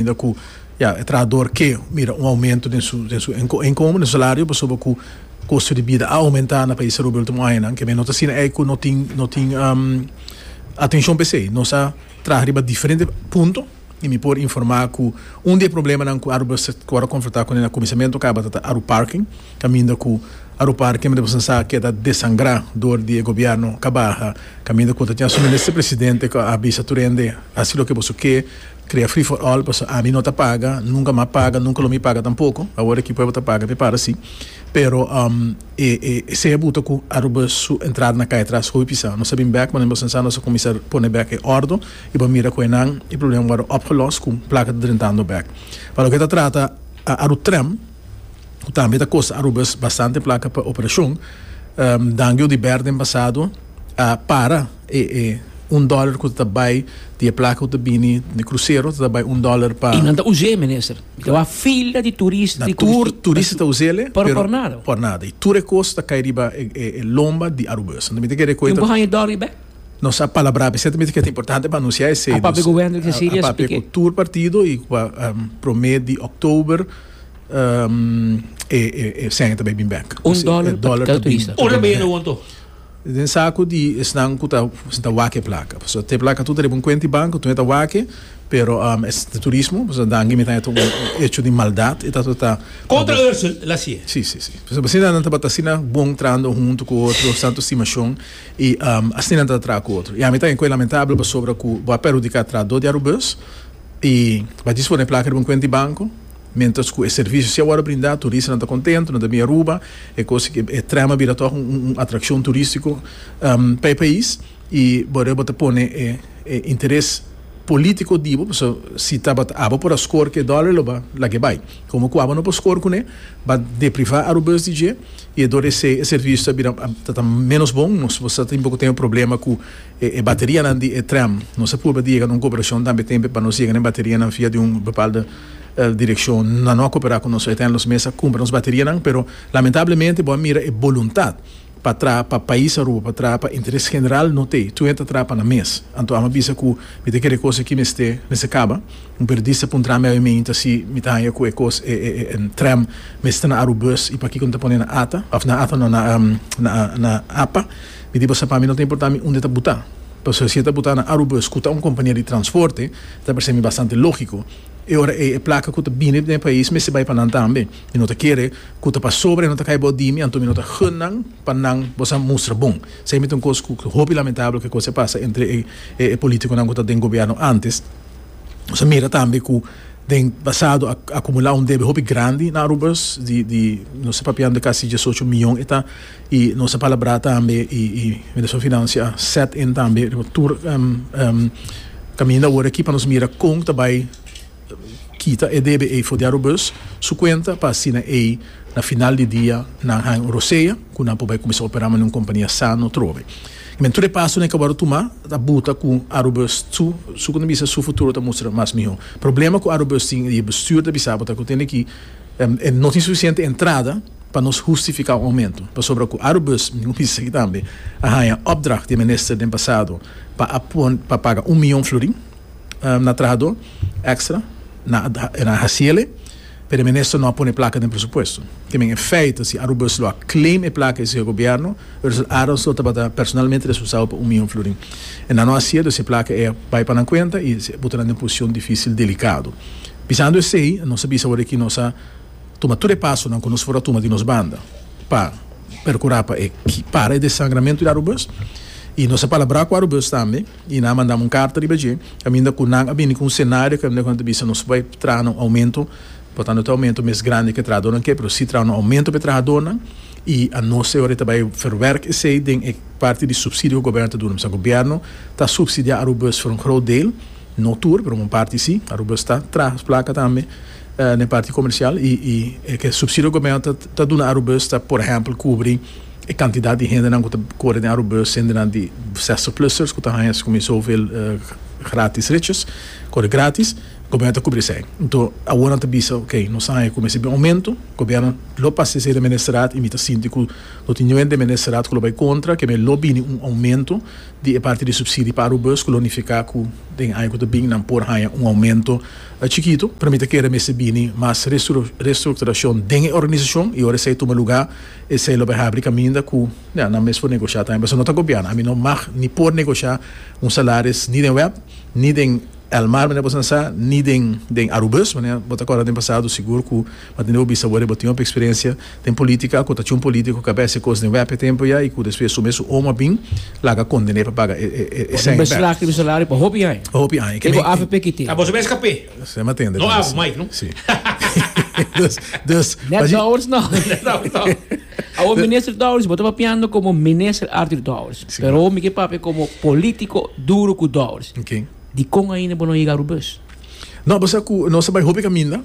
Ainda cu ya e trahador ke mira un aumento den su den su inkomen, den su salario, pasobra cu costo di bida a aumenta na pais Aruba e ultimo añanan. Keme no ta asina ei cu no tin no tin atencion pa esey. Nos a traha riba diferente punto y mi por informa cu un di e problemanan cu Aruba sa cu word confronta cu na cuminsamentu cabata ta Aruparking, caminda cu Aruparking mi ta bisa sa keda desangra dor di e gobierno cabaha, caminda cu ta tin asu Minister Presidente cu a bisa tur hende haci loke boso ke. Crea free for all paso ami no ta paga nunca ma paga nunca lo mi paga tampoco awor aki pueblo ta paga mi para si pero e e esey buta cu Aruba su entrada na cay atras hopi sa nos a bin bek manera nos pensa nos a cuminsa pone bek e ordo y bo mira cu enan e problema worde opgelos cu placa ta drentando bek pa loke ta trata Arutrem cu tambe ta costa Arubas bastante placa pa operacion dango di bert den pasado a para. E e un dollar cu ta bay di e placa cu ta bini den e crucero ta bay un dollar pa. Y nan ta us'é, Minister. Y ta bay fila di turista. Na tur turista ta us'é le. Pero por nada. Por nada. Y tur e cos ta cay riba e e e lomba di Aruba. Esei ta miti kere cu e ta. Tin cu haña dor riba e. Nos a palabr'á p'esei ta miti cu e ta importante pa anunciá esei. A papia Gobierno di Cecilia esplike. A papia cu tur partido y cu a prome di October e e e seña ta bay bin bek. Un dollar pa cada turista. Ora bey e awor anto. Den sa cu di esnan cu ta sinta wak e placa, pasobra ta e placa tur ta riba un cuenta di banco, enton e ta wak e, pero es di turismo, pasobra dan gime ta un hecho di maldad, e ta tur ta Contra Ursel el haci e. Si, si, si. Pasobra asina nan tabata asina bon trando hunto cu otro, es tanto estimacion, y asina nan ta tra cu otro. Y ami ta enco e lamentable pasobra cu bo a perhudica tra dos diarubes y bo a dispone e placa riba un cuenta di banco, Mientras cu e servicio si awor a brinda, turistanan ta contento, nan ta bin Aruba, e cosa ki e tren a bira toch un atraccion turistico pa e pais, y bo rei bo ta pone e interes politico di bo, pasobra si tabata abo por a score cu e dollar lo ba laga e bay, como cu abo no por score cu ne, ba depriva Arubes di dje, y e dor esey e servicio ta bira ta menos bon, nos bo sa tin poco teme problema cu e baterianan di e tren, nos a purba di yega na un cooperacion tambe tempe pa nos yega na e baterianan via di un bepalde. El direkshon nan no a koperá ku nos uiteindelijk nos mes a kumpra nos baterianan pero lamentablemente bo a mira e boluntat pa traha pa pais Aruba pa traha pa interes general no t'ei tu'e ta traha pa nan mes anto ame a bisa ku mi ta kere e kos aki mester mester kaba un periodista puntra mi awe meinta asi mi ta haña ku e kos e tram mester ta na Arubus i pakiko no ta pone na ata òf na ata no na na apa mi di bo sa pa mi no ta importa mi unda ta buta pasobra si e ta buta na Arubus ku ta un kompania di transporte. Ta parse mi bastante lógiko. E ora ei e plaka ku ta bini den e pais mester bai pa nan tambe. Mi no ta kere ku ta pasobra e no ta kai bou di mi, anto mi no ta gun nan pa nan bo sa mustra bon. Sei mi ta un kos ku ta hopi lamentabel ku e kos ei pasa entre e polítikonan ku ta den gobièrnu ántes. Nos a mira tambe ku den pasado a akumulá un debe hopi grandi na Arubas di di nos ta papiando di kasi diesocho miyon. E ta. I nos a palabrá tambe i i Minister van Finansia a set in tambe riba tur kaminda awor aki pa nos mira kon ta bai kita e debe ei for di Arobus su kuenta pa asina ei na final di dia nan haña un rosea ku nan por bai kuminsá operá mane un kompania sano trobe. I men tur e pasonan ke awor tumá ta buta ku Arobus su su punto di bista su futuro ta mustra mas mihó. Problema ku Arobus tin i e bestuur ta bisá bo ta ku tene ki e no tin sufisiente entrada. pa nos hustifiká un oumentu, pasobra ku Arubus, mi mester di segi tambe, a haña opdracht di e minister den pasado pa a pon pa paga un mion florin na trahadó èkstra, e na hasiele, pero e minister no a pone e plaka den presupuesto. Te men e fèit, si Arubus lo a claim e plaka esei gobièrnu, Russel Adams lo tabata personalmente responsabel pa un mion florin. E nan no a hasié, dus e plaka ei a bai pa nan kuenta i a puta nan den un posishon difísil, delikado. Bisando esei, nos a bisa awor aki nos a. Tuma tur e pasonan ku nos por a tuma di nos banda pa perkurá pa e para e desangramentu di Arubus i nos a palabrá ku Arubus tambe i nan a mandan un karta riba dje kaminda ku nan a bini ku un senario kaminda ku nan ta bisa nos bai traha un oumentu por tantu no ta e oumentu mes grandi ku e trahadornan ke pero si traha un oumentu pa e trahadornan i anos awor e ta bai verwerk esei den e parti di supsidio ku gobierno ta duna mester gobierno ta supsidiá Arubus for un groot deel no tur pero un parti si Arubus ta traha su plaka tambe. na e parti komersial i e ke supsidio gobierno ta ta duna Arubus ta por ehèmpel kubri e kantidat di hendenan ku ta kore den Arubus hendenan di zestig plusers ku ta haña su kuminsó hoeveel gratis ritjes kore gratis gobierno ta kubri esei nto aworan ta bisa oke nos ta haña ku mester bin oumento gobierno lo pasa esei den ministerat i mi ta sinti ku no tin ninguén den ministerat ku lo bai kontra keme lo bini un oumento di e parti di supsidi pa Arubus ku lo nifiká ku den aña ku ta bin nan por haña un oumento E chikitu, pa mi ta kere mester bini mas restrukturashon den e organisashon i ora esei tuma lugá, esei lo bai habri kaminda ku nan mes por negosha tambe pasobra no ta gobièrnu. Ami no mag ni por negosha un salaris ni den web, ni den El Mar manera bo sa sa, ni den Arubus manera bo ta kòrda den pasado sigur ku. Ma tende bo bisa worde bo tin hopi experiencia den politica acu ta chun politico cu a bes e cos den web e tempo ya y cu despues su mes su omo a bin laga condene pa paga e seng e beslagte di bo salario pa hopi aña. Pa hopi aña. Kiko avp ki tin. Ta boso mes kapé. Esei m'a tende tambe. No abo, Mike no. Si. Dus, dus. Net Douwers no. Net Douwers no. Awor minister Douwers bo ta papiando como minister Arthur Douwers. Si. Pero awor mi ke papia como politico duro cu Douwers. Ok. Dicon ainda bo no yega Rubus? No, bo sa cu nos a bay hopi caminda.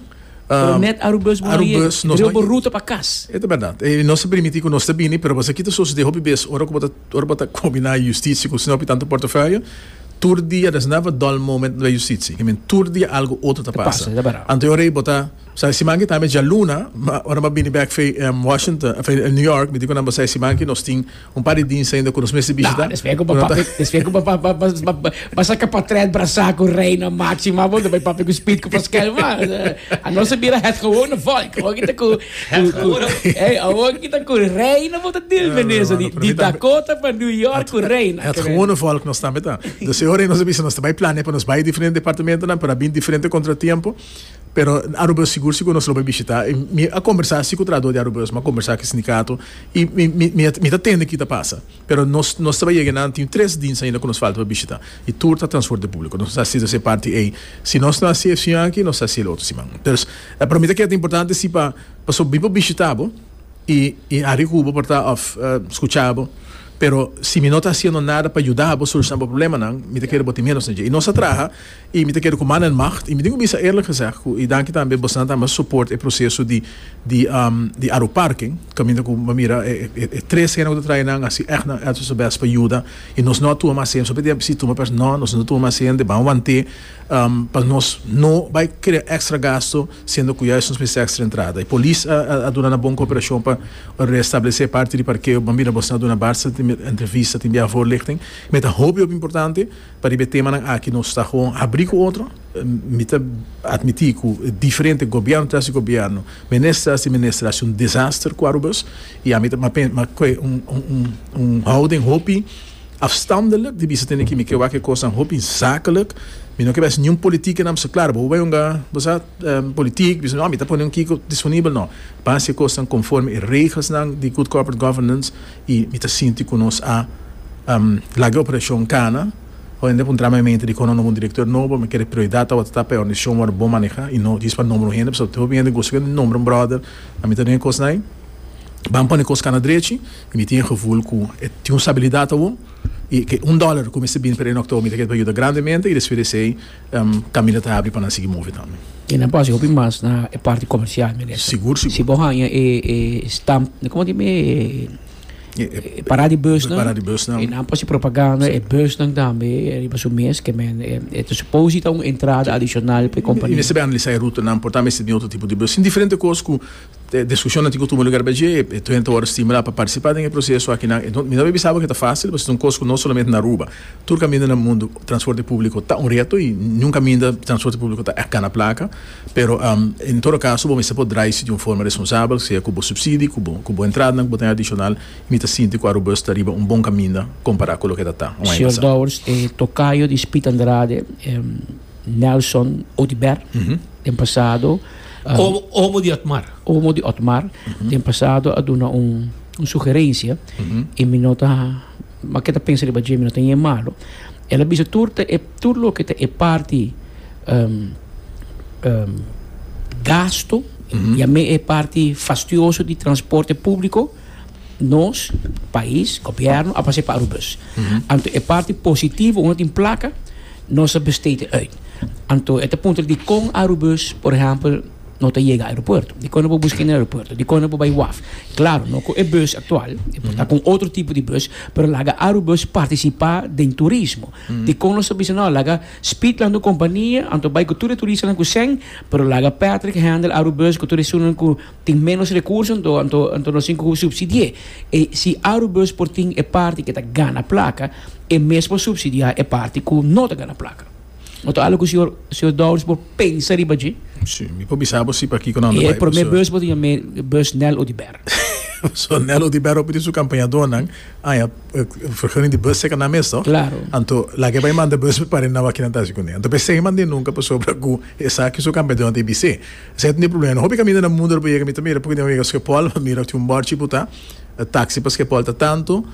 Pero net Arubus bo aye, e bai bo ruta pa cas. E ta berdad. E nos ta permiti cu nos ta bini, pero pasobra ki ta sosode hopi bes ora cu bo ta, ora bo ta combina e justitie cu sina hopi tanto portafoyo, tur dia, there's never a dull moment na justitie. I mean, tur dia algo otro ta pasa. Anto e ora ei bo ta, sa e siman aki tambe djaluna, ma ora bo a bini bek, Washington, New York, mi di cu nan bo sa e siman aki nos tin Un par di dins ainda ku nos mester bishita. Despues ku bo saka potret brasa ku Reina Maxima abo ta bai papia ku Speed ku Paskel mas. Anos a bira het gewone volk. Awor kita ku awor kita ku Reina bo ta deal mende eso di Dakota pa New York ku Reina. Het gewone volk nos tambe ta. Dor si ora nos a bisa nos ta bai plania pa nos bai diferente departamentonan pero a bin diferente kontratiempo. Pero Aruba sigur si ku nos lo bai bishitá. Mi a kombersá asi ku trahadó di Aruba, mi a kombersá ku e sindikato i mi ta tende ki ta pasa. Pero nos nos ta bai yega nan tin tres dins ainda ku nos falta pa bishitá i tur ta transporte públiko. Nos a hasi e parti ei. Si nos no a hasi e siña aki nos a hasi e otro siman. Pues pa mi ta keda importante si pa pasobra mi por bishitá bo i haria ku bo por ta òf skuchá bo. Pero si mi no ta hasiendo nada pa yuda bo solushona bo problemanan mi ta kere bo tin menos na dje. I nos a traha I mi ta keda ku mannan macht, i mi tin ku bisa eerlijk gezegd ku i danki tambe bosanan ta mas support e proseso di di di aeroparking, kaminda ku bo mira e tres hende ku ta traha nan hasi ègt nan èlso su bèst pa yuda i nos no a tuma mas hende, solamente si tuma pers no, nos no ta tuma mas hende, ban want'é pa nos no bai krea èkstra gasto siendo ku yais nos mester èkstra entrada. E polis a a duna nan bon kooperashon pa restablesé parti di parkeo, bo mira bosanan a duna bastante entrevista tin biaha voorlichting, mi ta hopi hopi importante. Pariba e temanan aki nos ta gewoon habrí ku otro. Mi ta atmití ku diferente gobièrnu tras di gobièrnu, minister tras di minister hasi un desaster ku Arubus i ami ta mak'é un houding hopi afstandelik di bisa tene ki mike wak e kosnan hopi zakelik. Mi no ke bes niun politik ke nan bisa klar, bo bai hunga bo sa politik, bisa no mi ta pone un kiko disponibel, no. Pan hasi e kosnan konforme e regelnan di good corporate governance I mi ta sinti ku nos a laga operashon kana. Hoy en dia por un trama e mente di kon no bo un direktor nobo, mi kere prioridat awor ta tapa e òrganisashon wòrdu bon manehá i no djis pa nòmber un hende pasobra te hopi hende gosta ku e nòmber un bròder. Pa mi ta duna e kosnan ban pone kos kana drechi i mi tin e gevoel ku e tin un stabilidat awor i ke un dòler ku mester bini per e nòktober mi ta keda pa yuda grandemente i despues di esei. Camino ta habri pa nan sigui move tambe. I nan por hasi hopi mas na e parti comercial, Minister. Sigur, sigur. Si bo hanja e stamp, como di mi e parada di busnan. E parada di busnan. I nan por hasi propaganda e busnan tambe riba su mes, ke men e ta suposi ta un entrada adicional pa e compania. I mester bay analisá e rutanan, por ta mester tin otro tipo di bus, tin diferente cos cu. E diskushonnan tin ku tuma lugar bendje e tuenta wòrdu stimulá pa partisipá den e proseso akinan. E mi no tabata bisa bo ku ta fásil, pasobra es un kos ku no solamente na Aruba, tur kaminda na mundu transporte públiko ta un reto i niun kaminda transporte públiko ta èk gana plaka. Pero, en todo kaso, bo mester por draisi di un forma responsabel, sea ku bo supsidi, ku bo ku bo entradanan ku bo ta hay adishonal. I mi ta sinti ku Arubus ta riba un bon kaminda kompará ku loke ta ta un aña pasá. Señor Dowers, e tokayo di Spit Andrade. Nelson Odibert, den pasado. Um, omo di Otmar. Omo di Otmar, uh mhm. -huh. den pasado a duna un, un sugerencia, uh mhm. -huh. y mi nota, ma que ta pensa riba Jimmy, no tenía malo. Ela bisa tur, te, e, tur lo que te e parti um, um, gasto, uh mhm. -huh. ya me e parti fastioso di transporte público, Nos, pais, gobierno a pas'e pa Aruba's. Anto e parti positivo unda tin plaka, nos a besteed'e uit. Anto e ta puntra dikon Aruba's, por ehempel, no ta yega aeropuerto? Dikon no por busk'e na aeropuerto? Dikon no por bai waf? Klaro, no ku e bus aktual, e por ta ku un otro tipo di bus, pero laga Aruba's partisipá den turismo. Dikon nos ta bisa, no, laga Speed lanta un kompania, anto bai ku tur e turistanan ku sèn, pero laga Patrick hendel Aruba's ku tur esunnan ku. Tin ménos rekurso anto anto anto nos tin ku supsidi'é. E si Aurubus por tin e parti ke ta gana plaka, e mes por supsidiá e parti ku no ta gana plaka. No ta algu ku señor señor Dowers por pensa riba dje. Sí, mi por bisa bo si pa kiko nan ta bai E promé bus por ta yam'é bus Nel Oduber. So Nel Oduber hopi di su kampañadónan aña vergunning di bus seka nan mes tòg? Klaro. Anto lag'é bai manda bus pare nan wak kinan ta hasi kuné. Anto p'e segui mand'é nunka pasobra ku esaki su kampañadónan ta e bis'é. Esei ta un e problema. Na hopi kaminda na mundu el a por yega mi ta mira p'e tin un wega skepòl pa mira ku tin un bòrchi ku ta taksi pa skepòl ta tantu,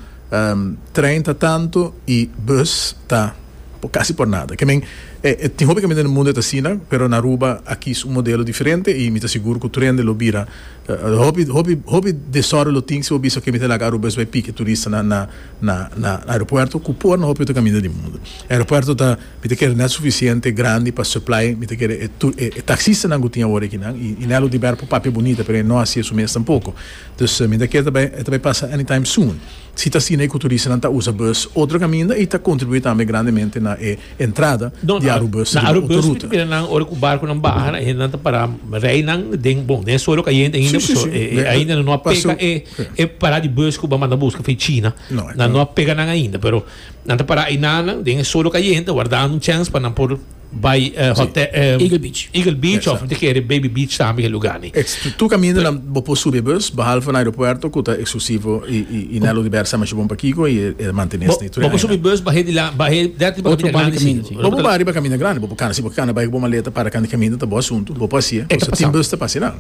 trein ta tantu i bùs ta por kasi por nada. Ke men e tin hopi kaminda na mundu e ta asina pero na Aruba a kis un modelo diferente i mi ta sigur ku trende lo bira hopi hopi hopi desòrdo lo tin si bo bisa ke mi ta laga arubes bai piki turista na na na aeropuerto ku por na hopi otro kaminda di mundu. Aeropuerto ta. Mi ta kere nel sufisiente grandi pa supply, mi ta kere e tur e taxistanan ku tin awor aki nan, i nel lo Diber por papia bunita, pero e no hasi esun mes tampoko. Dus mi ta kere ta bai e ta bai pasa anytime soon. Si ta asina i ku turistanan ta usa bus otro kaminda i ta kontribuí tambe grandemente na e entrada di Arubus riba otro ruta. No, na Arubus mi ta mira nan ora ku barkunan baha nan e hendenan ta para rei nan den bon, den suelo kayente ainda pasobra e ainda nan no a pega e pará di bus ku bo a manda buska for China, nan no a pega nan ainda pero. Nan ta pará einanan den e solo kayente wardando un chèns pa nan por bai hotè Eagle Beach Eagle Beach òf nan ta kere Baby Beach tambe e lugá ni. Tur kaminda bo por subi e bus behalve na aeropuerto ku ta eksklusivo i na e lugar sa masha bon pa kiko i e mantenes ni tur e aña. Bo por subi bus bah'é di la bah'é dèrti pa kaminda grandi si. Bo por bah'é riba kaminda grandi bo por kana si bo kana bai ku bo maleta para kanta kaminda ta bo asuntu bo por hasié kosa tin bus ta pas'é nan.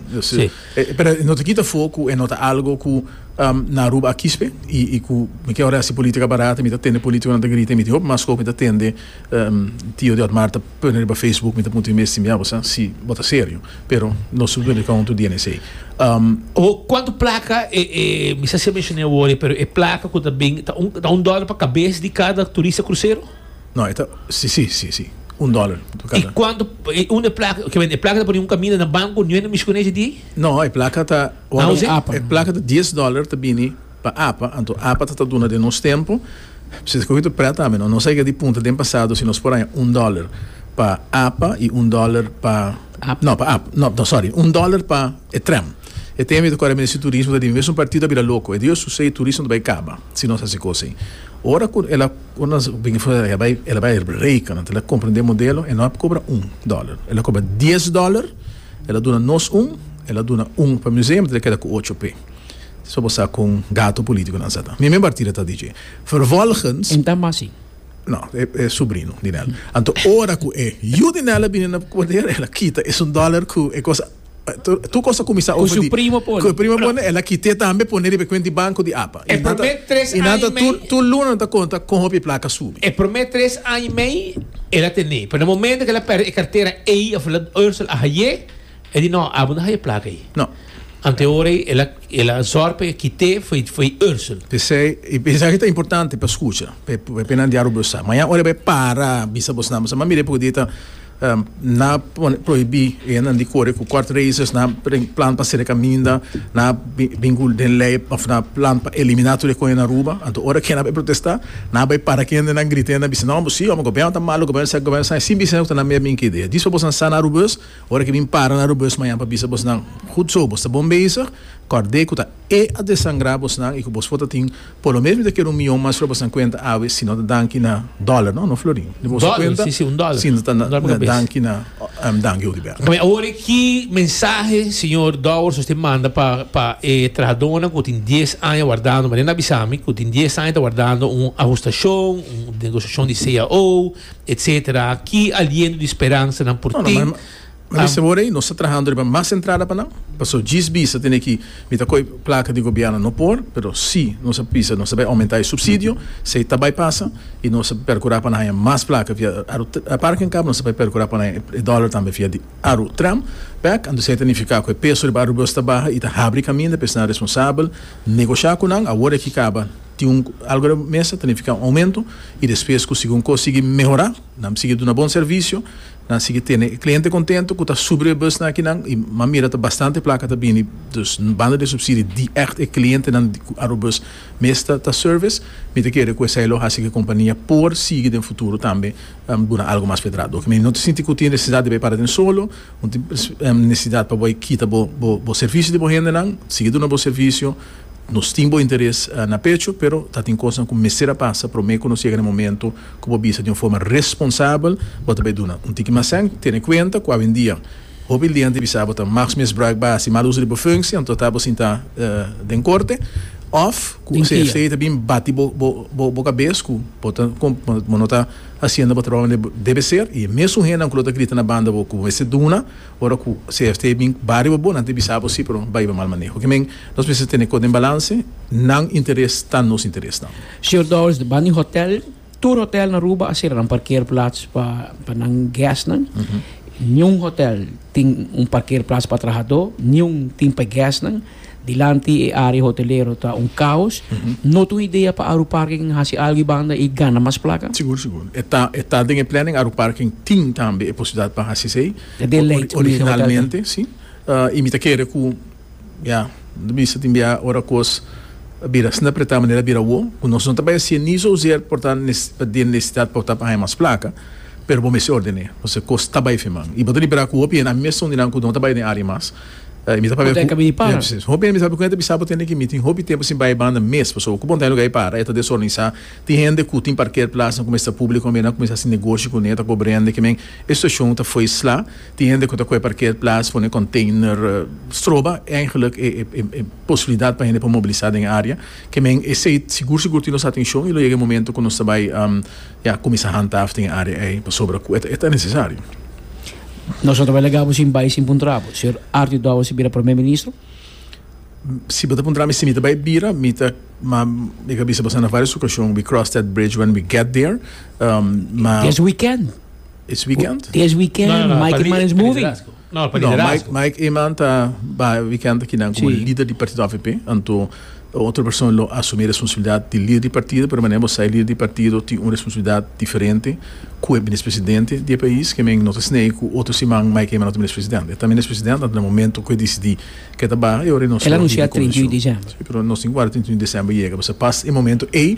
Pero e no ta kita for ku e no ta algo ku. na Aruba a kispe y cu mikier ora haci politica barata mi ta tende politiconan ta grita y mi tin hopi mas cu mi ta tende Tio di Otmar ta pone riba Facebook mi ta puntra mi mes ya bo sa si bo ta serio pero nos ta duna di counto di ene esey. Oho cuanto placa e mi sa si a menciona awor pero e placa cu ta bini ta un ta un dollar pa cabes di cada turista crucero? No e ta si si si si un dollar pa cada. Y cuanto un e placa kimen e placa ta pone un camina na banco niue na mishi con eje di? No e placa ta. E plaka di dies dòler ta bini pa apa, anto apa ta ta duna den nos tempu. Presidente Cohen ta prèt tambe, no? Nos a yega di punta den pasado si nos por haña un dòler pa apa i un dòler pa, no, pa ap, no, no, sòri, un dòler pa e trèm. E tempu ei ta kòrè mester si turismo ta di mester un partido a bira loko. E dia su sei turismo ta bai kaba si nos hasi kos ei. Ora ku el a, ku nos a bini for, el a bai, el a bai reikana, el a komprendé modelo, e no a kobra un dòler, el a kobra dies dòler. El a duna nos un, el a duna un pa Museum, ta ta keda ku ocho pe. So bo sa kon gato politikonan sa ta. Mi men partida ta DJ. Vervolgens. Enta mas si. No, e e subrino di Nel. Anto ora ku e yu di Nel a bini na poder, el a kita esun dollar ku e kos tur kos a kuminsá over di. Ku su primo pone. Ku e primo pone, el a kit'é tambe pone riba e kuent di banko di. E promé tres aña i mei. Inata tur luna nan ta konta kon hopi e plaka subi. E promé tres aña i mei el a tene, pero na momento ku el a pèrdè e kartera ei of la Ursel a haye, el di, No, abo no haye plaka ei. No. Ante ora ei el a el a zòrg pa e kit'é fo'i Ursel. P'esei e mensahe ta importante pa skucha, p'e nan di Aruba Sa. Mañan ora bai para bisa bosnan, bo sa, Mami Repu di ta. Na prohibí enan di kore ku kòrt razors, na bring plan pa sere kaminda, na bin gul den lei òf na plan pa eliminá tur e koe na Aruba. Anto ora kende a bai protestá, nan a bai para kende, nan grita, nan bisa, No, bo si ome, gobièrnu ta malu, gobièrnu esaki, gobièrnu esaki, sin bisa nan ku ta nan mei bin ku idea. Dispa bosnan sa na Arubus, ora ke bin para na Arubus mañan pa bisa bosnan, Gud so, bo sta bon bezig, kòrd'é ku ta. E a desangra bosnan i ku bos por ta tin por lo menos ta keda un mion mas riba bosnan kuenta awe si no ta danki na dòler, no? No florin? Riba boso kuenta si no ta na danki na danki hopi bèk. Pabia awor e ki mensahe señor Dowers nos tin manda pa pa e trahadónan ku tin dies aña wardando, Mariana a bisa mi ku tin dies aña ta wardando un ahustashon, un negosiashon di cao, etcetera. Ki aliento di speransanan por tin? Ma bisti awor ey, nos ta trahando riba mas entrada pa nan, pasobra djis bisa tene ki mi ta coy placa di gobierno no por, pero si nos a bisa nos ta bay aumenta e subsidio, si ey ta bay pasa y nos ta percura pa nan haya mas placa via aru parking cab, nos ta bay percura pa nan haya e dollar tambe via di aru tram, bek, anto esey ta nifica cu e peso riba arubeos ta baha y ta habri caminda pa esnan responsabel negocia cu nan, awor aki caba tin un algo riba mesa ta nifica un aumento y despues cu segun cos sigui mehora, nan sigui duna bon servicio Nan sigui tene e cliente contento cu ta subri e bus na akinan y m'a mira ta bastante placa ta bini, dus banda de subsidi di echt e clientenan di cu Arobus mes ta ta service, mi ta kere cu esai lo haci cu e compania por sigui den futuro tambe duna algo mas pedrado. Oke mi no ta sinti cu tin necesidad di bai para den solo, no tin necesidad pa bai kita bo bo bo servicio di bo hendenan, sigui duna bo servicio, nos tin bo interes na pecho pero ta tin cosnan cu mester a pasa prome cu nos yega den momento ku bo bisa di un forma responsabel, bo ta bai duna un tiki mas sèn. Tene kuenta ku awendia hopi lei anti bisa bo ta mas misbruik base i mal uso di bo funsie, anto ta bo sinta den korte òf ku un CFC ta bin bati bo bo kabes ku bo ta bo no ta hasiendo bo trabou mane bo debe ser. I e mesun hendenan ku lo ta grita na banda bo ku bo mester duna, ora ku CFC bin baria bo bon anti bisa bo si, pero bai bo mal maneho. Ke men nos mester tene kos den balanse, nan interes ta nos interesnan. Señor Dowers, banda di hotel, tur hotel na Aruba a sera nan parkeerplats pa pa nan guestnan. Niun hotel tin un parkeerplats pa trahadó, niun tin pa e guestnan. Dilanti e área hotelero ta un kaos. No ta un idea pa Aruparking hasi algu i banda i gana mas plaka? Sigur, sigur. E ta e ta den e planning. Aruparking tin tambe e posibilidat pa hasi esei. Ta den lei, ori ori originalmente, si. I mi ta kere ku. Ya, lo bisa tin bia ora kos a bira snap retá manera a bira wou, ku nos no ta bai hasié ni souzeer por ta den nesesidat pa bo ta haña mas plaka, pero bo mester ordené, pasobra kos ta bai feman. I bo ta libera ku hopi hende, ami mes ta un di nan ku no ta bai den área mas, i mi ta pabia ku, ya, presis, hopi hende mi sabi ku nan ta bisa bo tende ku mi tin hopi tempu sin bai banda mes, pasobra ku bo no ta haña lugá di para, e ta desorganisá, tin hende ku tin parker plasnan ku mester publico, nan kuminsá hasi negoshi kuné, ta kobra hende, ke men, e situashon ta fois sla. Tin hende cu ta cu e parkeerplaats pone container stroba eigenlijk e posibilidad pa hende por mobilisa den e area. Ke men esey sigur sigur tin nos atencion y lo yega e momento cu nos ta bay ya cuminsa handhaaf den e area ey pasobra cu e ta necesario. Nos no ta bay laga bo sin bay sin puntra bo. Señor Arti Douwes ta bira Premier Ministro? Si bo ta puntra mi si mi ta bay bira, mi ta, ma mi ta bisa bo sa na varios ocasion, we cross that bridge when we get there, ma. This weekend! This weekend? This weekend, no, no, no, Mike Eman is moving. No, pa no Mike, Mike Eman ta ba weekend aquí nan como sí. líder di partido AVP. Anto otro persona lo asumir responsabilidad di líder di partido, pero mané bosa líder di partido ti un responsabilidad diferente cu e minister presidente di e país, que men no ta snei cu otro siman Mike Eman no ta minister presidente. E ta minister presidente anto na momento cu e decidi que ta ba, e ora nos lo hibi convention. El anuncia 31 de december. Sí, pero nos tin guarda 31 de december yega, bosa pas e momento ey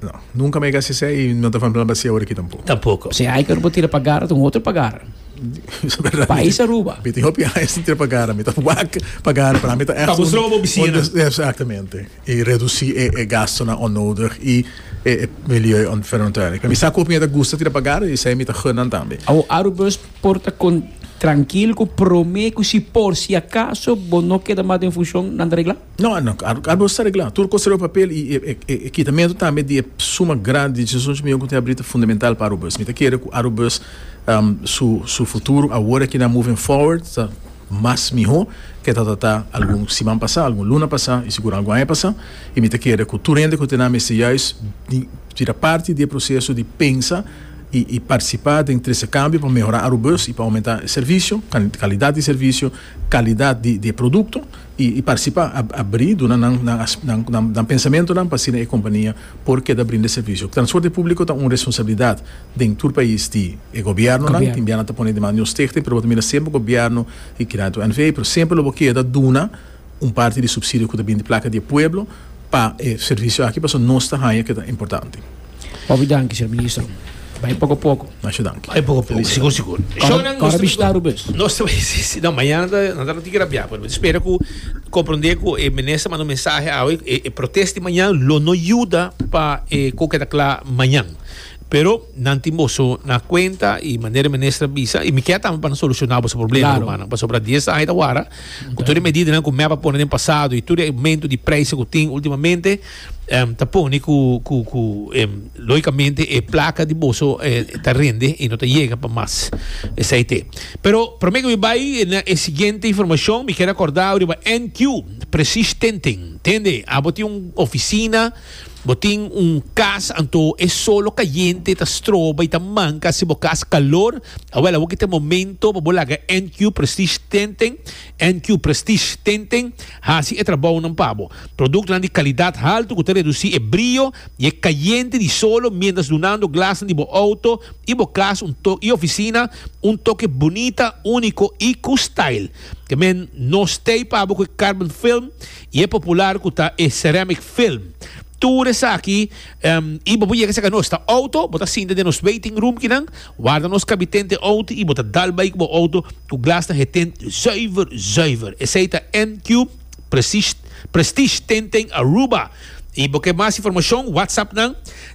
No. Nunca mi a hasi esei i no ta falta plan pa hasi awor aki tampoco. Tampoco. Si hay pero bo tira pa gara ta un otro pa gara. Pais Aruba. Mi tin hopi añas tin tira pa gara. Mi ta wak pa gara. Para mi ta echt un. Pa bo strobo bo bicina. Exactamente. I reduci e gastonan onnodig i e milieuonverantwoording. Mi sa cu hopi gente ta gusta tira pa gara i esei mi ta gun nan tambe. Awor Arubus por ta con tranquilo cu prome cu si por si acaso bo no keda mas den funcion nan ta regla? No, no, claro, claro, no está reglado. Tur cosa riba papel y e, e, e quitamento tambe di e suma grande di decisiones mi con te abrita fundamental para Arubus. Mi te quiere cu Arubus um, su, su futuro ahora que na moving forward está más mejor que ta ta ta algún semana pasá, algún luna pasá y seguro algún año pasá. Y mi te quiere cu tur hende cu te na mester juist di, tira parte di e proceso di pensa y, y participa den trece cambio pa mejora Arubus y pa aumenta e servicio, can, calidad di servicio, calidad di, di e producto. I i parsi pa abrí duna nan nan pensamentunan pa asina e kompania por keda brinda servisio. Transporte públiko ta un responsabilidat den tur pais di e gobièrnunan. Tin bia nan ta pone demanda di un stichting, pero bo ta mira semper gobièrnu i Kreditu NV. Pero semper lo bo keda duna un parti di supsidio ku ta bini di plaka di e pueblo pa e servisio aki pasobra nos ta haña ku e ta importante. Ofi danki, señor ministro. Bai poko poko. Masha danki. Bai poko poko, sigur sigur. Shownan, Kora nos bishita Aruba es. Nos ta bai si si. No, mañana ta nan ta tigre bia por mi spera ku komprende ku e minister manda un mensahe awe e e protest di mañan lo no yuda pa e ku ke ta kla mañan. Pero nan tin boso na kuenta i manera e minister a bisa i mi kèt tambe pa nan solushona boso problema Claro. rumannan pasobra di esei ta wara ku tur e medidanan ku mep a pone den pasado i tur e aumento di preise ku tin ultimamente em ta pone cu cu cu em logicamente e placa di boso eh, ta rende y no ta llega pa mas esai te pero prome que mi bai na e siguiente informacion mi quiero acordar riba NQ precies tenten tende abo tin un oficina bo tin un cas anto e solo cayente ta stroba y ta manca si bo cas calor awel abo kite momento pa bo laga NQ precies tenten NQ Prestige tenten hasi e trabounan pa bo. Productnan di calidad halto cu ta reduci e brio y e cayente di solo mientras dunando glasnan di bo auto y bo cas un toke y oficina un toke bunita, unico y cu style. Te men no stay pa bo cu e carbon film y e popular cu ta e ceramic film. Tur esaki y bo por yega saca nos ta auto, bo ta sinta den nos waiting room kinan. Warda nos kabiten te outo i bo ta dal bai ku bo outo ku glas ta heten zuiver zuiver. Esei ta NQ Prestige Tenten Aruba. I bo ke mas informashon whatsapp nan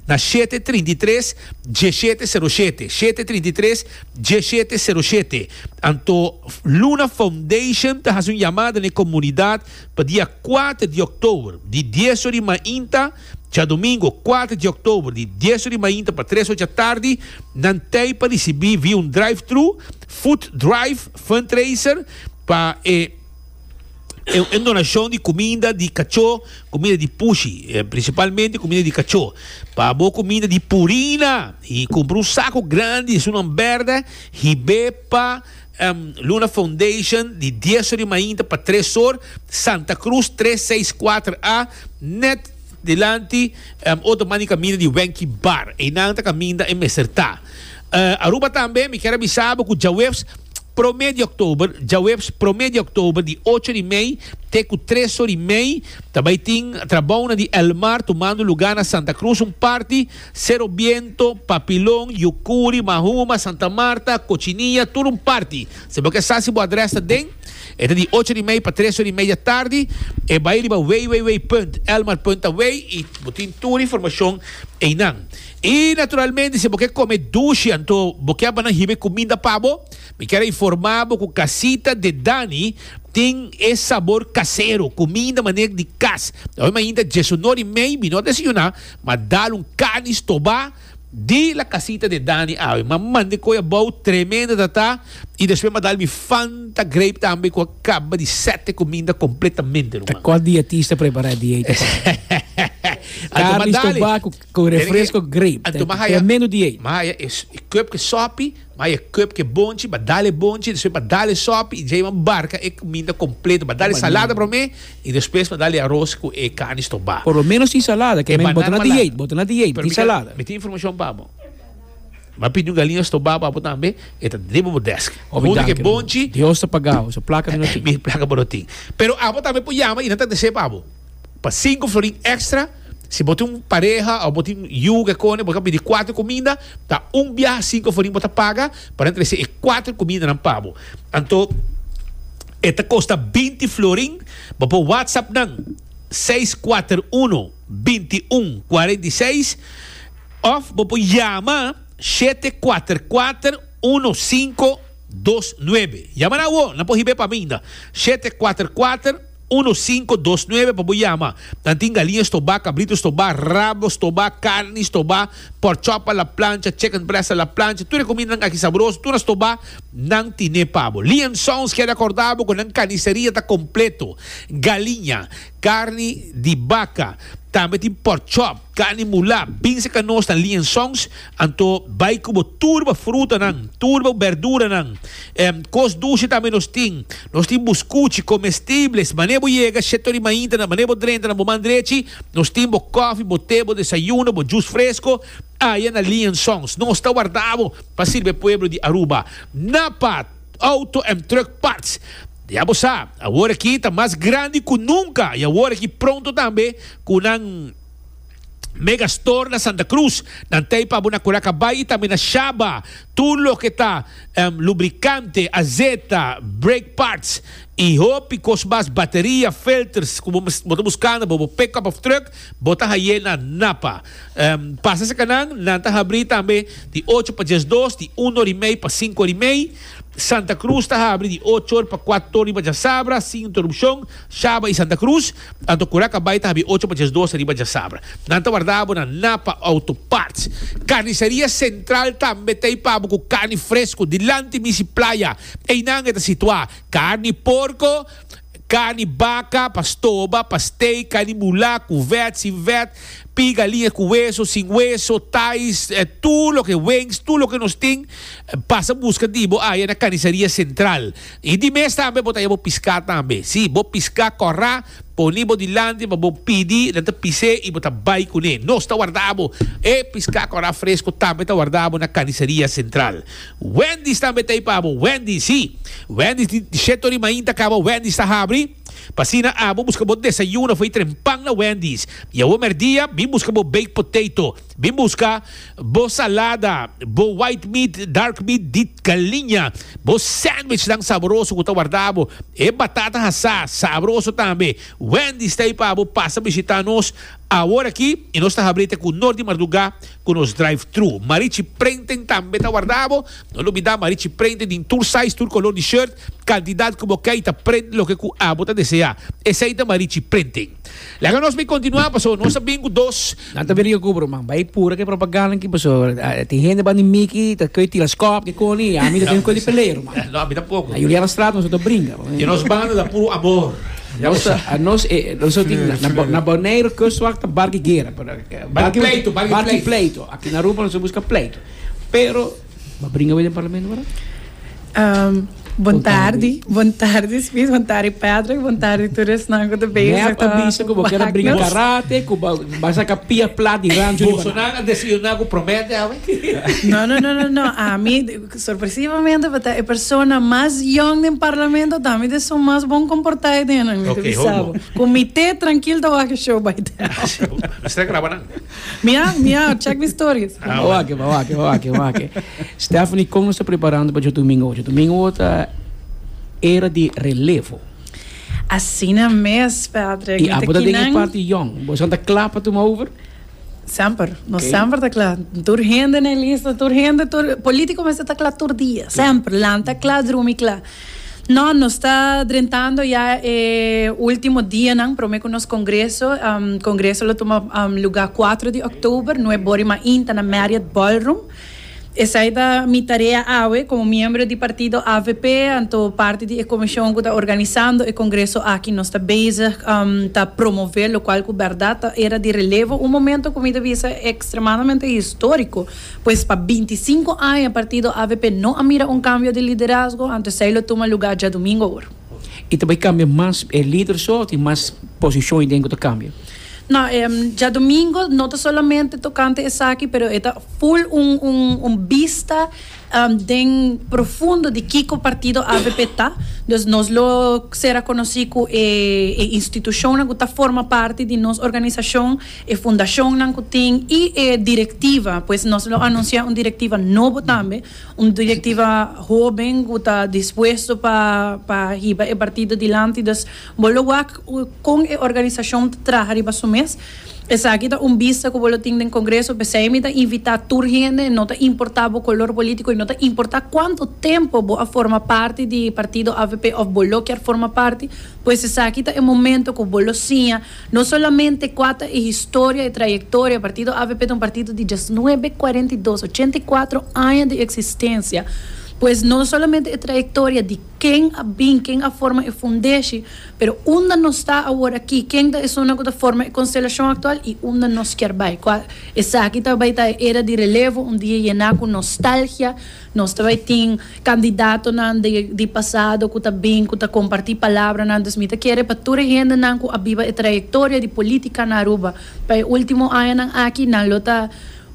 na shete trinta i tres dieshete sero shete, shete trinta i tres dieshete sero shete. Anto Luna Foundation ta hasi un yamada na e komunidat pa dia kuater di òktober di dies ora i mainta. Djadomingo kuater dje oktober di dies ori mainta pa tres ocha tardi nan tei pa risibí via un drive-thru food drive fundraiser pa e un donashon di kuminda di kachó, kuminda di pushi, prinsipalmente kuminda di kachó, pa abo kuminda di purina y kumpra un saku grandi esun nan bèrdè hib'é pa. Luna Foundation di dies or di mainta pa tres or, Santa Cruz tres seis kuater a, net dilanti otro man di kaminda di Wenky Bar. Einan ta kaminda e mester ta. Aruba tambe mi kier a bisa bo ku djaweps promé di òktober, djaweps promé di òktober di ocho di mei te ku tres or di mei ta bai tin trabounan di El Mar tumando lugá na Santa Cruz un parti. Sero Biento, Papilon, Yucuri, Mahuma, Santa Marta, Cochinilla, tur un parti. Si bo ke sa si bo adres ta den, e ta di ocho di mei pa tres ora y media tardi. E bai riba www.elmarpuntaway y bo tin tur informacion einan. Y naturalmente si bo ke come dushi anto bo ke banan hiba e cuminda pa bo, mi kier a informa bo cu Casita de Dani tin e sabor casero, cuminda manera di cas. Oima ainda diesunor y mei mi no a desayuna, Ma dal un cani stobá di la casita de Dani awe. Ma mande coy abou tremenda ta ta y despues ma dal mi Fanta Grape tambe cu a caba di sete cuminda completamente ruman. Ta cos di atis ta prepara e dieet pa Dani. Anto ma dale. Cani stobá cu refresco grape. Anto ma haya. Tremendo dieet. Ma haya e cup cu e sopi, ma haya e cup cu e bonchi, ma dal e bonchi, despues ma dal e sopi y djei ma barca e cuminda completo. Ma dal e salada prome. Y despues pa dal e aros cu e carni stobá. Por lo menos tin salada, que men bo ta na di eet, bo ta na di eet, tin salada. Mi tin informacion pa bo. M'a pidi un galiña stobá pa bo tambe, e ta riba bo desk. Ofi Hunto danki, cu e hermano. bonchi. Dios ta pagao, su placa mi no tin. Mi placa bo no tin. Pero abo tambe por yama y nan ta desee pa bo, pa cinco florin extra. Si bo tin un pareha o bo tin yu ke kone bo ta pidi kuater kuminda ta un biaha sin ku aforin bo ta paga paran trese e kuater kumindanan pa bo anto e ta kosta binti florin bo por whatsapp nan seis kuater uno binti un kuarenta i seis òf bo por yama shete kuater kuater uno sinku dos nuebe yama nan awor nan por hib'e paminda shete kuater kuater Uno sinku dos nuebe pa bo yama. Nan tin galiña stobá, kabrito stobá, rabo stobá, karni stobá, pork chop a la plancha, chicken breast a la plancha, tur e kumindanan aki sabroso, tur a stobá, nan tine pa bo. Lee and Sons kere akordá bo ku nan kaniseria ta kompleto. Galiña, karni di baka, tambe tin pork chop. Cani mulá, binse ca nos ta lienzons, anto bai cu bo tur bo frutanan, tur bo berduranan, e cos dushi tambe nos tin, nos tin buscuchi, comestibles, manera bo yega, sheta di maintanan, manera bo drenta na bo man drechi, nos tin bo coffee, bo te, bo desayuno, bo jus fresco, aya na lienzons, nos ta warda bo pa sirbe pueblo di Aruba, na pa auto en truck parts. Ya bo sa, awor aki ta mas grandi ku nunka i awor aki pronto tambe ku nan Mega Store na Santa Cruz, nan ta pa bo na Curaca Bay i tambe na Shaba. Tur loke ta lubrikante, azeta, brake parts i hopi kos mas, bateria, filters, ku bo ta buskando pa bo pickup òf trùk, bo ta hai'é na Napa. Pasa sakanan, nan ta habrí tambe di ocho pa diesdos, di un ora i mei pa sinku ora i mei. Santa Cruz ta habri di ocho or pa kuat tor riba djasabra sin interupcion, Shaba y Santa Cruz, anto Cura Cabay ta habri ocho pa djes doce riba djasabra. Nan ta warda abo na Napa Auto Parts. Carniceria Central tambe t'ey pa abo cu carni fresco, dilanti misi playa. Eynan e ta situa, Carni porco, Carni baca, pa stoba, pa steak, carni mula, cu vet, sin vet, pigalinha cu hueso, sin hueso, thais, tur loke wings, tur loke nos tin, pasa busca di bo aya na Carniceria Central. Y di mes tambe bo ta haya bo pisca tambe. Si, bo pisca cora, poni bo dilanti pa bo pidi, nan ta pise y bo ta bay cune. Nos ta warda bo. E pisca cora fresco tambe ta warda bo na Carniceria Central. Wendy's tambe ta ei pa bo. Wendy's, si. Wendy's di disheto rimain ta caba. Wendy's ta habri. P'asina abo busca bo desayuno afui trempan na Wendy's. I awor merdia bin busca bo baked potato. Bin busca bo salada, bo white meat, dark meat di galiña, bo sandwichnan saboroso cu ta warda abo. E batata hasá, sabroso tambe. Wendy's ta ei pa bo. Pasa bishita nos. Awor aki i nos ta habri te ku nor di mardugá ku nos drive thru. Marichi prenten tambe ta warda bo. No lubidá Marichi prenten den tur size, tur kolor di shirt, kantidat ku bo kei ta prent loke ku abo ta deseá. Esei ta Marichi prenten. Laga nos bai kontinuá paso nos ta bin ku dos. Nan ta bini Yokubro man bai pura ke propaganda aki paso tin hende bandi Miki ta kei teleskop ke koni i ami ta den koli pelero man. No ami tampoco. Juliana Straat nos ota bringa. Di nos banda ta puru amor. Nos ta, nos e, nos tin Fleiro, na, na, Bo- fleiro. na Bonaire kustwacht ta barki gera, pero eh, barki pleito, barki barki pleito. pleito. Aki na Aruba nos a buska pleito. Pero ba bringa wey den parlamento wara? Ehm, bon tardi, bon tardi Spies, bon tardi Patrick, bon tardi tur esnan ku ta bezig. Nep a ta bisa ku bo kera bringa wak nos. karate, ku ba, ba saka pia plat di rancho di Boso Banan. nan a desayuná ku promete awe? No, no, no, no, no. A mi, Sorpresivamente pa ta e persona mas yong den parlamento tambe ta esun mas bon komportae den nan, mi ta bisa bo. Ku mi te trankil ta wak e show bai tel. Mi stra graba nan. Mi a, mi a, chek mi stories. Ba wak, ba wak, ba wak, ba wak. Stephanie, kon nos ta preparando pa djodomingo? Djodomingo ta era di relevo. Asina mes, Patrick. I apo ta den e parti yong? Boso nan ta kla pa tuma over? Semper, nos semper ta kla. Tur hende na e lista, tur hende, tur polítiko mester ta kla tur dia. Semper, lanta kla, drumi kla. No, nos ta drentando ya e último dianan promé ku nos kongreso. Kongreso lo tuma lugá kuatro di òktober, nuè bòrima inta na Marriott Ballroom. Esai ta mi tarea awe como miembro di partido avp, anto parti di e comision cu ta organisando e congreso aki. Nos ta bezig ta promove locual cu berdad ta era di relevo, un momento cu mi ta bisa extremadamente historico, pues pa binti sinku aña partido avp no a mira un cambio di liderazgo, anto esai lo tuma lugar djadumingo awor. Y ta bay cambia mas e lider so tin mas posiciones den cu ta cambia? No, djadomingo no ta solamente tocante esaki, pero e ta full un, un, un bista den profundo di kico partido avp ta. Dus nos lo ser a conoci cu e, e institucionnan cu ta forma parti di nos organisacion, e fundacionnan cu tin y e directiva, pues nos lo anuncia un directiva nobo tambe, un directiva hoben cu ta dispuesto pa, pa hiba e partido dilanti. Dus. Bo lo wak kon e organisashon ta traha riba su mes. Esaki ta un bista ku bo lo tin den kongreso, p'esei mi ta invitá tur hende, no ta importá bo kolor polítiko i no ta importá kuantu tempu bo a forma parti di partido avp òf bo lo kier forma parti, pues esaki ta e momento ku bo lo siña no solamente kua ta e historia, e trayektoria. Partido avp ta un partido di diasnuebe, kuarenta i dos, ochenta i kuatro aña di eksistensia. Pues no solamente e trayektoria di. Ken a bin, ken a forma e fundeshi, pero unda nos ta awor aki, ken ta esunnan ku ta forma e konstelashon aktual i unda nos kier bai? Kua esaki ta bai ta e era di relevo, un dia yená ku nostalgia, nos ta bai tin kandidatonan di di pasado ku ta bin, ku ta kompartí palabranan. Dus mi ta kere pa tur e hendenan ku a biba e trayektoria di polítika na Aruba, pa e último añanan aki nan lo ta.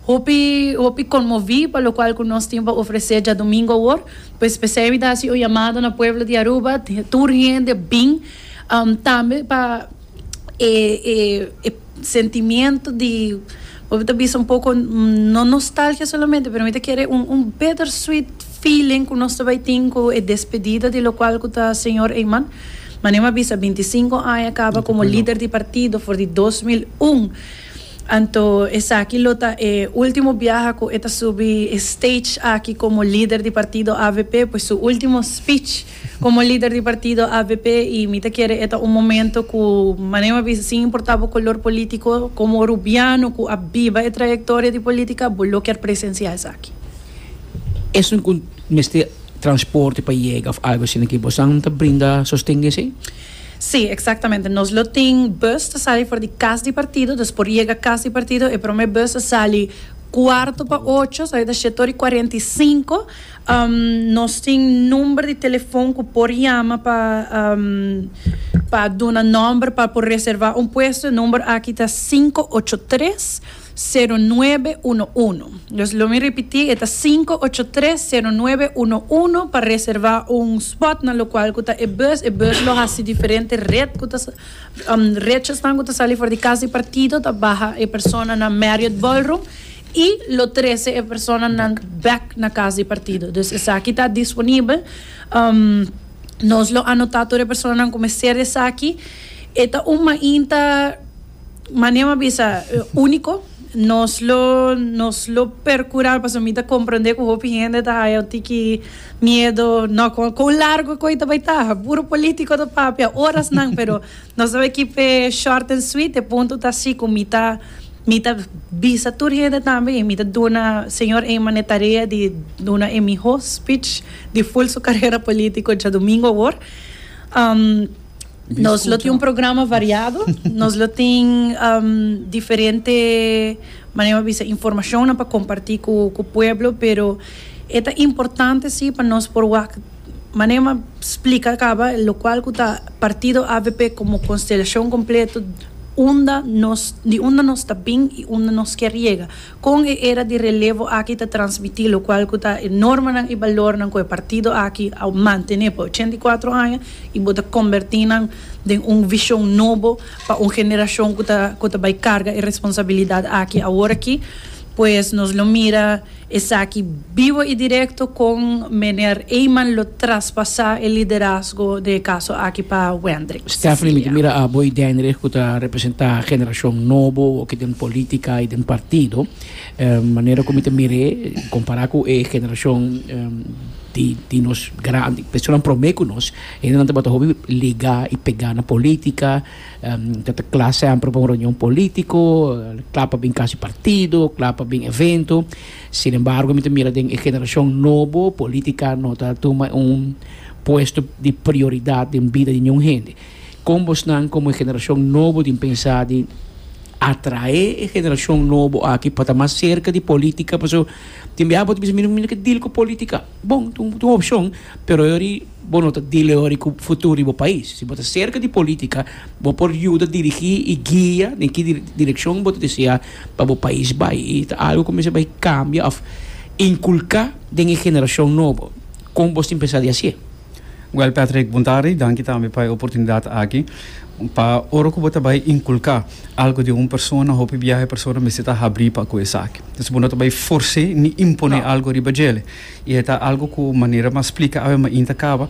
Hopi hopi conmovi pa locual cu nos tin pa ofrece djadomingo awor, pues p'esey mi ta haci un llamado na pueblo di Aruba, tur hende bin tambe pa e e e sentimiento di, hopi ta bisa un poco no nostalgia solamente pero mi ta kere un un bitter sweet feeling cu nos ta bay tin cu e despedida di locual cu ta Señor Eyman, manera mi a bisa binti sinco aña caba como lider di partido for di dos mil un. Anto esaki lo ta e ultimo biaha cu e ta subi e stage aki como lider di partido avp, pues su ultimo speech como lider di partido avp y mi ta kere e ta un momento cu mane bo a bisa sin importa bo color politico como Rubiano cu a biba e trayectoria di politica bo lo ker presencia esaki. Esun cu mester transporte pa yega of algo asina ki bo san ta brinda sosten di esey? Sí, exactamente. Nos lo tin bus ta sali for di cas di partido, dus por yega cas di partido. E prome bus a sali cuarto pa ocho, sa e ta shetoor y cuarenta y cinco. Nos tin number di telefon cu por yama pa pa duna nomber pa por reserva un puesto. E number aki ta sinku ocho tres. sero nuebe uno uno. Los lo mi ripití e ta sinku ocho tres sero nuebe uno uno pa reservá un spot na lokual ku ta e bus. E bus lo hasi diferente ret ku ta rechesnan ku ta sali for di kas di partido ta baha e persona na Marriot Ballroom i lo trese e personanan bek na kas di partido. Dus esaki ta disponibel. Nos lo anotá tur e personanan ku mester esaki. E ta un mainta. Mane m'a bisa úniko. Nos lo nos lo perkurá pasobra mi ta komprondé ku hopi hende ta haya un tiki miedo. Nò, kon kon largu ku e ta bai ta? Puru polítiko ta papia orasnan, pero nos ta bai kipe short and sweet. E punto ta si ku mi ta mi ta bisa tur hende tambe i mi ta duna señor Eyman e tarea di duna e mihó spich di hul su karera polítiko djadumingu awor. Nos lo tin un programa variado, nos lo tin diferente manera mi bisa informacionnan pa comparti cu pueblo, pero e ta importante si pa nos por wak manera mi a splica caba locual cu ta partido avp como constelacion completo unda nos di unda nos ta bin y unda nos kier yega. Kon e era di relevo aki ta transmití lokual ku ta e normanan i balornan ku e partido aki a mantené pa ochenta i kuatro aña i bo ta kombertí nan den un vishon nobo pa un generashon ku ta ku ta bai karga e responsabilidat aki aworakí? Pues nos lo mira esaki. Bivo y directo con Meneer Eyman lo traspasa e liderazgo de e caso aki pa Wendrick Stephanie mi ta mira abo y Denrich cu ta representa generacion nobo aki den politica y den partido manera cu mi ta mir'e compara cu e generacion di di nos gran personanan prome cu nos hende nan tabata hopi liga y pega na politica ta ta cla semper pa un reunion politico cla pa bin casi partido cla pa bin evento Sin embargo mi ta mira den e generacion nobo politica no ta tuma un puesto di prioridad den bida di niun hende. Con bosnan como e generacion nobo tin pensa di atrae e generacion nobo aki pa ta mas cerca di politica pasobra tin bia abo ta bisa mi no ke deal cu politica bon ta un opcion pero yori bo no ta deal yori cu futuro di bo pais. Si bo ta cerca di politica bo por yuda dirigi y guia den ki direccion bo ta desea. pa bo pais bai y ta algo cu mester bai cambia of inculca den e generacion nobo. Con bo tin pensa di haci e? Well Patrick Buntari, danki tambe pa e oportunidad aki. Pa ora cu bo ta bai inculca algo den un persona hopi biaha e persona mester ta habri pa cu esaki. Entonces bo no ta bai force ni impone algo riba djele. I e ta algu ku manera m'a splika awe m'a inta kaba,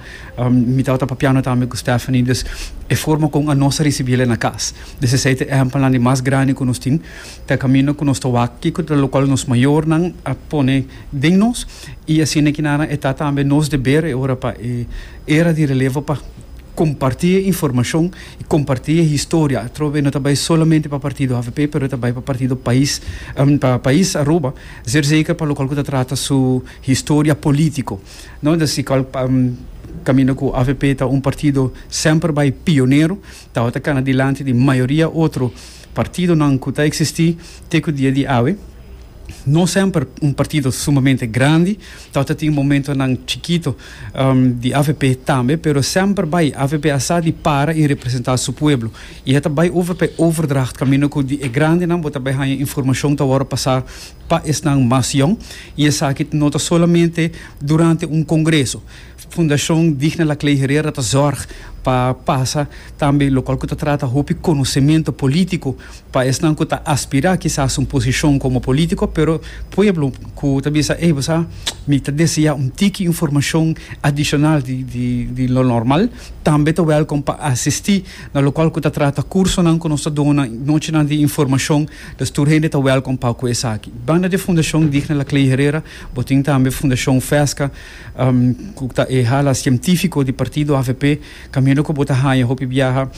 mi tabata papiando tambe ku Stephanie, dus e forma kon anos a risibí el na kas. Des esei ta e ehèmpelnan di mas grandi ku nos tin, ta e kaminda ku nos ta wak kiko ta lokal nos mayornan a pone den nos, i asina e kinaran e ta tambe nos deber e ora pa e era di relevo pa kompartí e informashon i kompartí e historia atrobe no ta bai solamente pa partido avp pero ta bai pa partido pais pa pais Aruba. Ser zeker pa lokal ku ta trata su historia politiko. No ta si kal kaminda ku avp ta un partido semper bai pionero, tabata kana dilanti di mayoria otro partidonan ku ta eksistí te ku dia di awe. No semper un partido sumamente grandi, tabata tin momentonan chikito di avp tambe, pero semper bai avp a sa di para i representá su pueblo. I e ta bai over pa e overdracht kaminda ku di e grandenan bo ta bai haña informashon ta wòrdu pasá pa esnan mas yòn. I esaki no ta solamente durante un kongreso. Fundashon Digna La Clay Herrera ta zòrg pa pasa tambe lokal ku ta trata hopi konosementu polítiko pa esnan ku ta aspirá kisas un posishon komo polítiko pero pueblo ku ta bisa ey bo sa mi ta deseá un tiki informashon adishonal di lo normal tambe ta wèlkom pa asistí. Na local cu ta trata cursonan cu nos ta dona nochinan di informacion, dus tur hende ta welcom pa cu esaki. Banda di Fundacion Digna La Clay Herrera, bo tin tambe Fundacion Fesca, cu ta e hala cientifico di partido avp, caminda cu bo ta haya hopi biaha,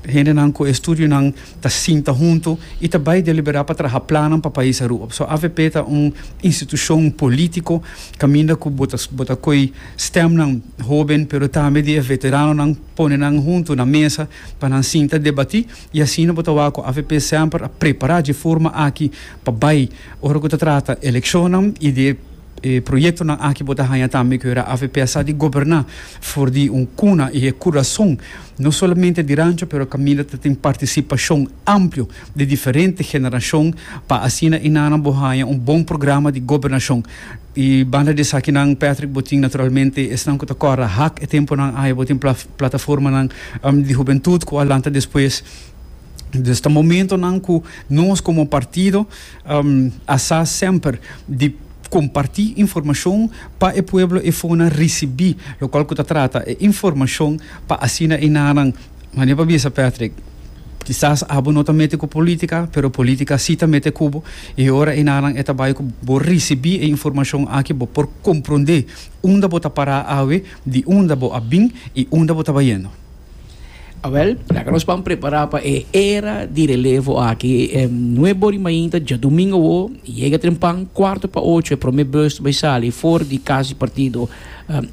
hendenan cu e studionan ta sinta hunto y ta bay delibera pa traha plannan pa pais Aruba. Pasobra avp ta un institucion politico, caminda cu bo ta coy stemnan hoben pero tambe di e veteranonan, pone nan huntu na mesa pa nan sinta debatí i asina bo ta wak ku avp semper a prepará dje forma aki pa bai ora ku ta trata elekshonnan i di e proyektonan aki bo ta haña tambe ku era avp a sa di goberná for di un kuna i e kurason no solamente di rancho pero kaminda ta tin partisipashon amplio di diferente generashon pa asina inana bo haña un bon programa di gobernashon. I banda di esakinan Patrick bo tin naturalmente esnan ku ta kòrda hak e tempunan aya bo tin plataformanan di hubentut ku a lanta despues dus ta momentonan ku nos komo partido a sa semper di kompartí informashon pa e pueblo e fona risibí lokual ku ta trata e informashon pa asina enanan Mania pa bisa Patrick, kisas abo no ta mete ku politika, pero politika si ta mete kubo, i ora enanan e ta bai ku bo risibí e informashon aki bo por komprondé unda bo ta pará awe, di unda bo a bin i unda bo ta bayendo. Awèl, laga nos ban prepará pa e era di relevo aki. Nué bor di mainta djadumingu awó, yega trempan, kuartu pa ocho e promé bus ta bai sali for di kas di partido.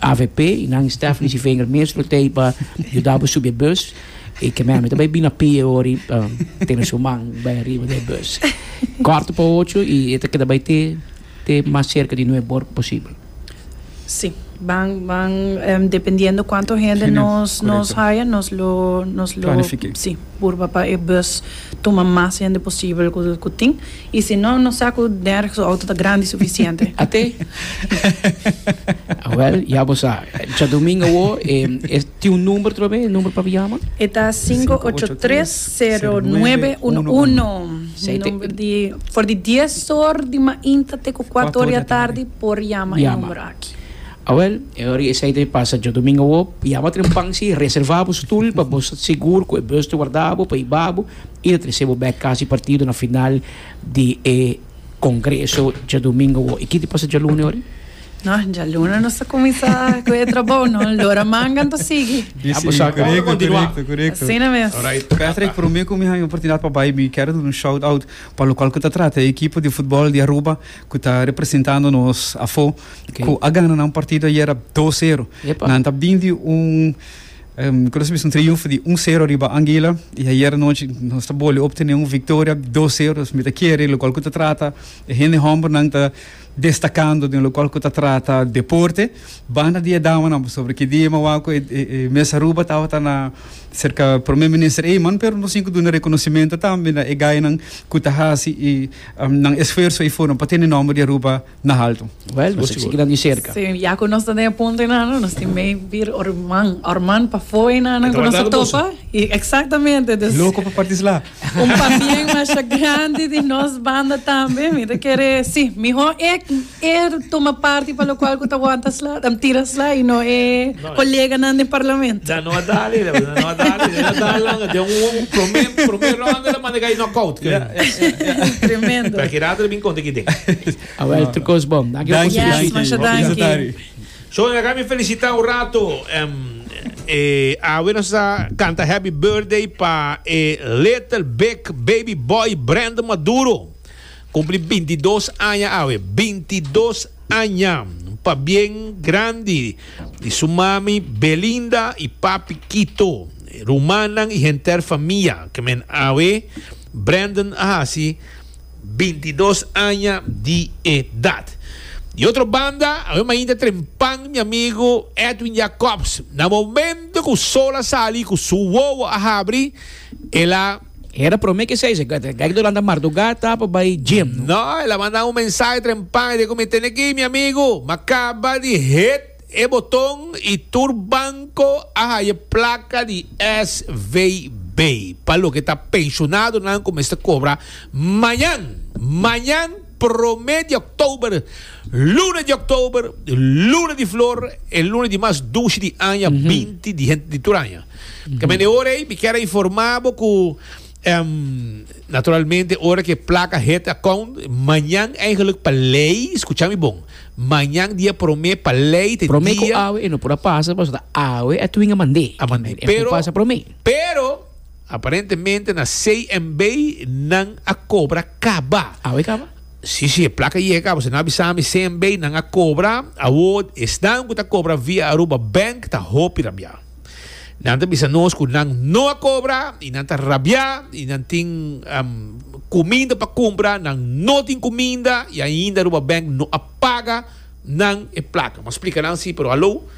avp y nan staff misi vinger mes lo tey pa yuda bo subi e bus y ke meme ta bay bina pie ori pa tene su man bay ariba de e bus korto pa ocho y e ta keda bay te te mas cerca di nueve bor posibel. Si ban ban dependiendo cuanto hende Hende, nos nos correcto. haya nos lo nos lo Planifique. si purba pa e bus tuma mas hende posibel cu cu tin Y si no, no sa cu Derek su auto ta grandi suficiente. Ate? Awel, ya bo sa. Djadomingo awo, e tin un number trobe, e number pa bo yama? E ta cinco ocho tres cero nuebe uno uno. Number di, for di dies or di mainta te cu cuato or di atardi por yama e number aki. Awel, e ora esey ta pasa djadomingo awo, yama trempan si, reserva bo stoel pa bo sta segur cu e bus ta warda bo pa iba bo. I ta trese bo bek kasi partido na final di e Congreso djadumingo wou. I kiti pasa djalune ori? No, djalune nos ta kuminsá ku e trabou, no? Lora mangan ta sigui. Ya bo sa kon lo kontinuá. Korekto, korekto. Asina mes. Alraight, ta ta. Patrick, promé ku mi haña oportunidat pa bai, mi kèr duna un shout out pa lokual ku ta trata e ekipo di futbòl di Aruba ku ta representando nos afó, ku a gana nan partido ayera dos sero. Epa. Nan ta bini di un. Costa bisa un triunfo di un sero riba Anguila y ayer anochi nos ta boli obtene un victoria dos sero nos mester kere locual cu ta trata e hende hombernan ta destacando den locual cu ta trata deporte banda di e damanan pasobra ki dia mawaco e e mes Aruba tabata na cerca Prome Minister Eman pero nos tin cu duna reconocimento tambe na e guy nan cu ta haci y nan esfuerzo ey for nan pa tene nomber di Aruba. na haltu. Wèl, nos a sigui nan di serka. Sí, ya ku nos ta den e punto einan, no, nos tin mei bir orman, orman pafó einan nan ku nos a topa. I eksaktamente, dus. Loko pa partislá. Un pabien masha grandi di nos banda tambe, mi ta kere, sí, mihó e e tuma parti pa lokual ku ta wanta slá, tira slá i no e. Koleganan den parlamento. Da no a dale da no a dale da no a dale langa den un prome prome ronda lo manda gai knockout ke tremendo ta ki rato bin konta kiten a wel tu kos bom danki yes danki masha danki so na kami felicita un rato um, e awe nos sa canta happy birthday pa e little big baby boy Brandon Maduro Kumpli bintidos aña awe. Bintidos aña pa bien grandi di su mami Belinda i papi Kito, rumannan i henter famia ke men awe. Brandon a hasi bintidos aña di edat. Di otro banda, awe mainta trempan mi amigu Edwin Jacobs. Na momentu ku sol a sali i ku su wowo a habri, el a. Hera prome ke sei, Gek do lanta marduga ta pa bai gym. No, el a manda un mensahe trempan, e di ku mi tene ki mi amigu, m'a kaba di hit e boton i tur banko a haye plaka di SVB pa loke ta penshonadonan ku mester kobra mañan, mañan prome di oktober, luna di oktober, luna di flor, e luna di mas dushi di aña, binti di hent di tur aña. Camen e ora ey mi kier a informa bo cu naturalmente ora que placa het account mañan eigenlijk pa ley escucha mi bon mañan dia prome pa ley te prome dia cu awe e no por a pasa paso ta awe a twinga mande a mande pero pasa prome pero aparentemente na CMB nan a cobra caba awe caba Sí, sí, placa y acabo. Se no avisame CMB, nan a cobra. Award, estan ku ta cobra via Aruba Bank, ta hopi rabia. Nan ta bisa nos cu nan no a cobra y nan ta rabia y nan tin cuminda pa cumpra, nan no tin cuminda y ainda Aruba Bank no a paga nan e placa. Bo a splica nan si, pero halo,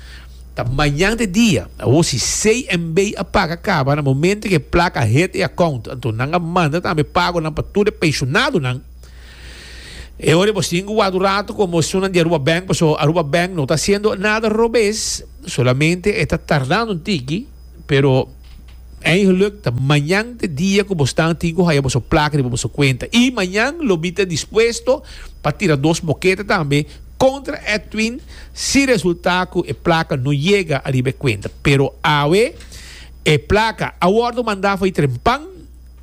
ta mañan te dia. Awor si CNB a paga caba na momento cu e placa a hit e account, anto nan a manda tambe pagonan pa tur e pensionadonan. E ora bo singu wak un ratu ku emoshonnan di Aruba Bank pasobra Aruba Bank no ta hasiendo nada robes, solamente e ta tardando un tiki, pero eigenlijk ta mañan te dia ku bo staan tin ku haya boso plaka riba boso kuenta i mañan lo mi ta dispuesto pa tira dos moketa tambe kontra Edwin si resulta ku e plaka no yega ariba e kuenta, pero awe e plaka a wòrdu manda for di Trempan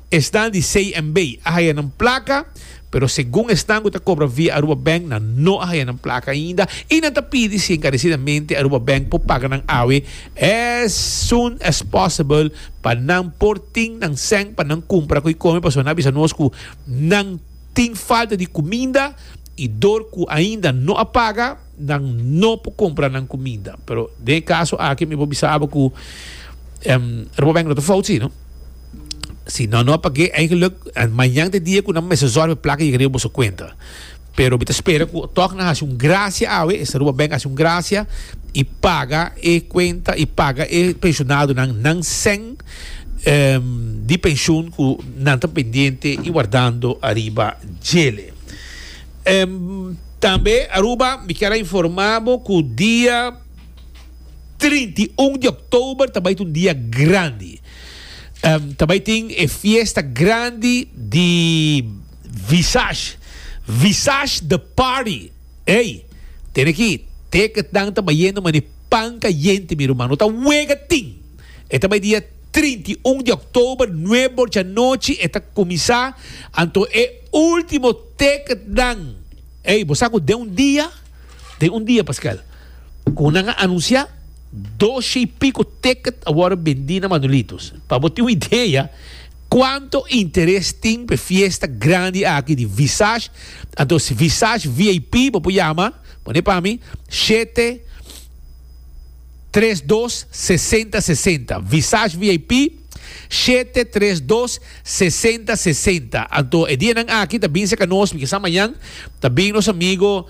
Esnan di CNB a haya nan plaka, pero segun esnan cu ta cobra via Aruba Bank nan no a haya nan plaka ainda y nan ta pidi si encarecidamente Aruba Bank por paga nan awe as soon as possible pa nan por tin nan cen pa nan cumpra cu y come pasobra nan a bisa nos cu nan tin falta di cuminda y dor cu ainda no a paga nan no por cumpra nan cuminda pero den e caso aki mi por bisa abo cu Aruba Bank no ta fout si no. Si no, no, paké eigenlik mañan te dia ku nan mester zòrg pa e plaka yega riba boso kuenta. Pero mi ta spera ku tòg nan hasi un grasia awe, e Saruba bèk hasi un grasia i paga e kuenta i paga e penshonadunnan nan sèn di penshun ku nan ta pendiente i wardando ariba djele. Tambe Aruba mi kier a informá bo ku dia. Trinta i un di òktober ta bai ta un dia grandi. Ta bai tin e fiesta grandi di Visage. Visage the party. Ey, tene ki teketnan ta bayendo manera pan kayente, mi ruman. No ta wega tin. E ta bai dia trinta i un di òktober, nuebe di anochi e ta kuminsá. Anto e último teketnan. Ey, bo sa ku den un dia. Den un dia, Pascual, como nan a anuncia, doshe y pico ticket a worde bendi na Manuelitos. Pa bo tin un idea cuanto interes tin p'e fiesta grandi aki di Visage, anto si Visage VIP bo por yama, pone pa mi, shete, tres dos, sesenta, sesenta. Visage VIP. Shete tres dos sesenta sesenta Anto e dianan aki ta binse ka nos mi kisa mañan ta bin nos amigo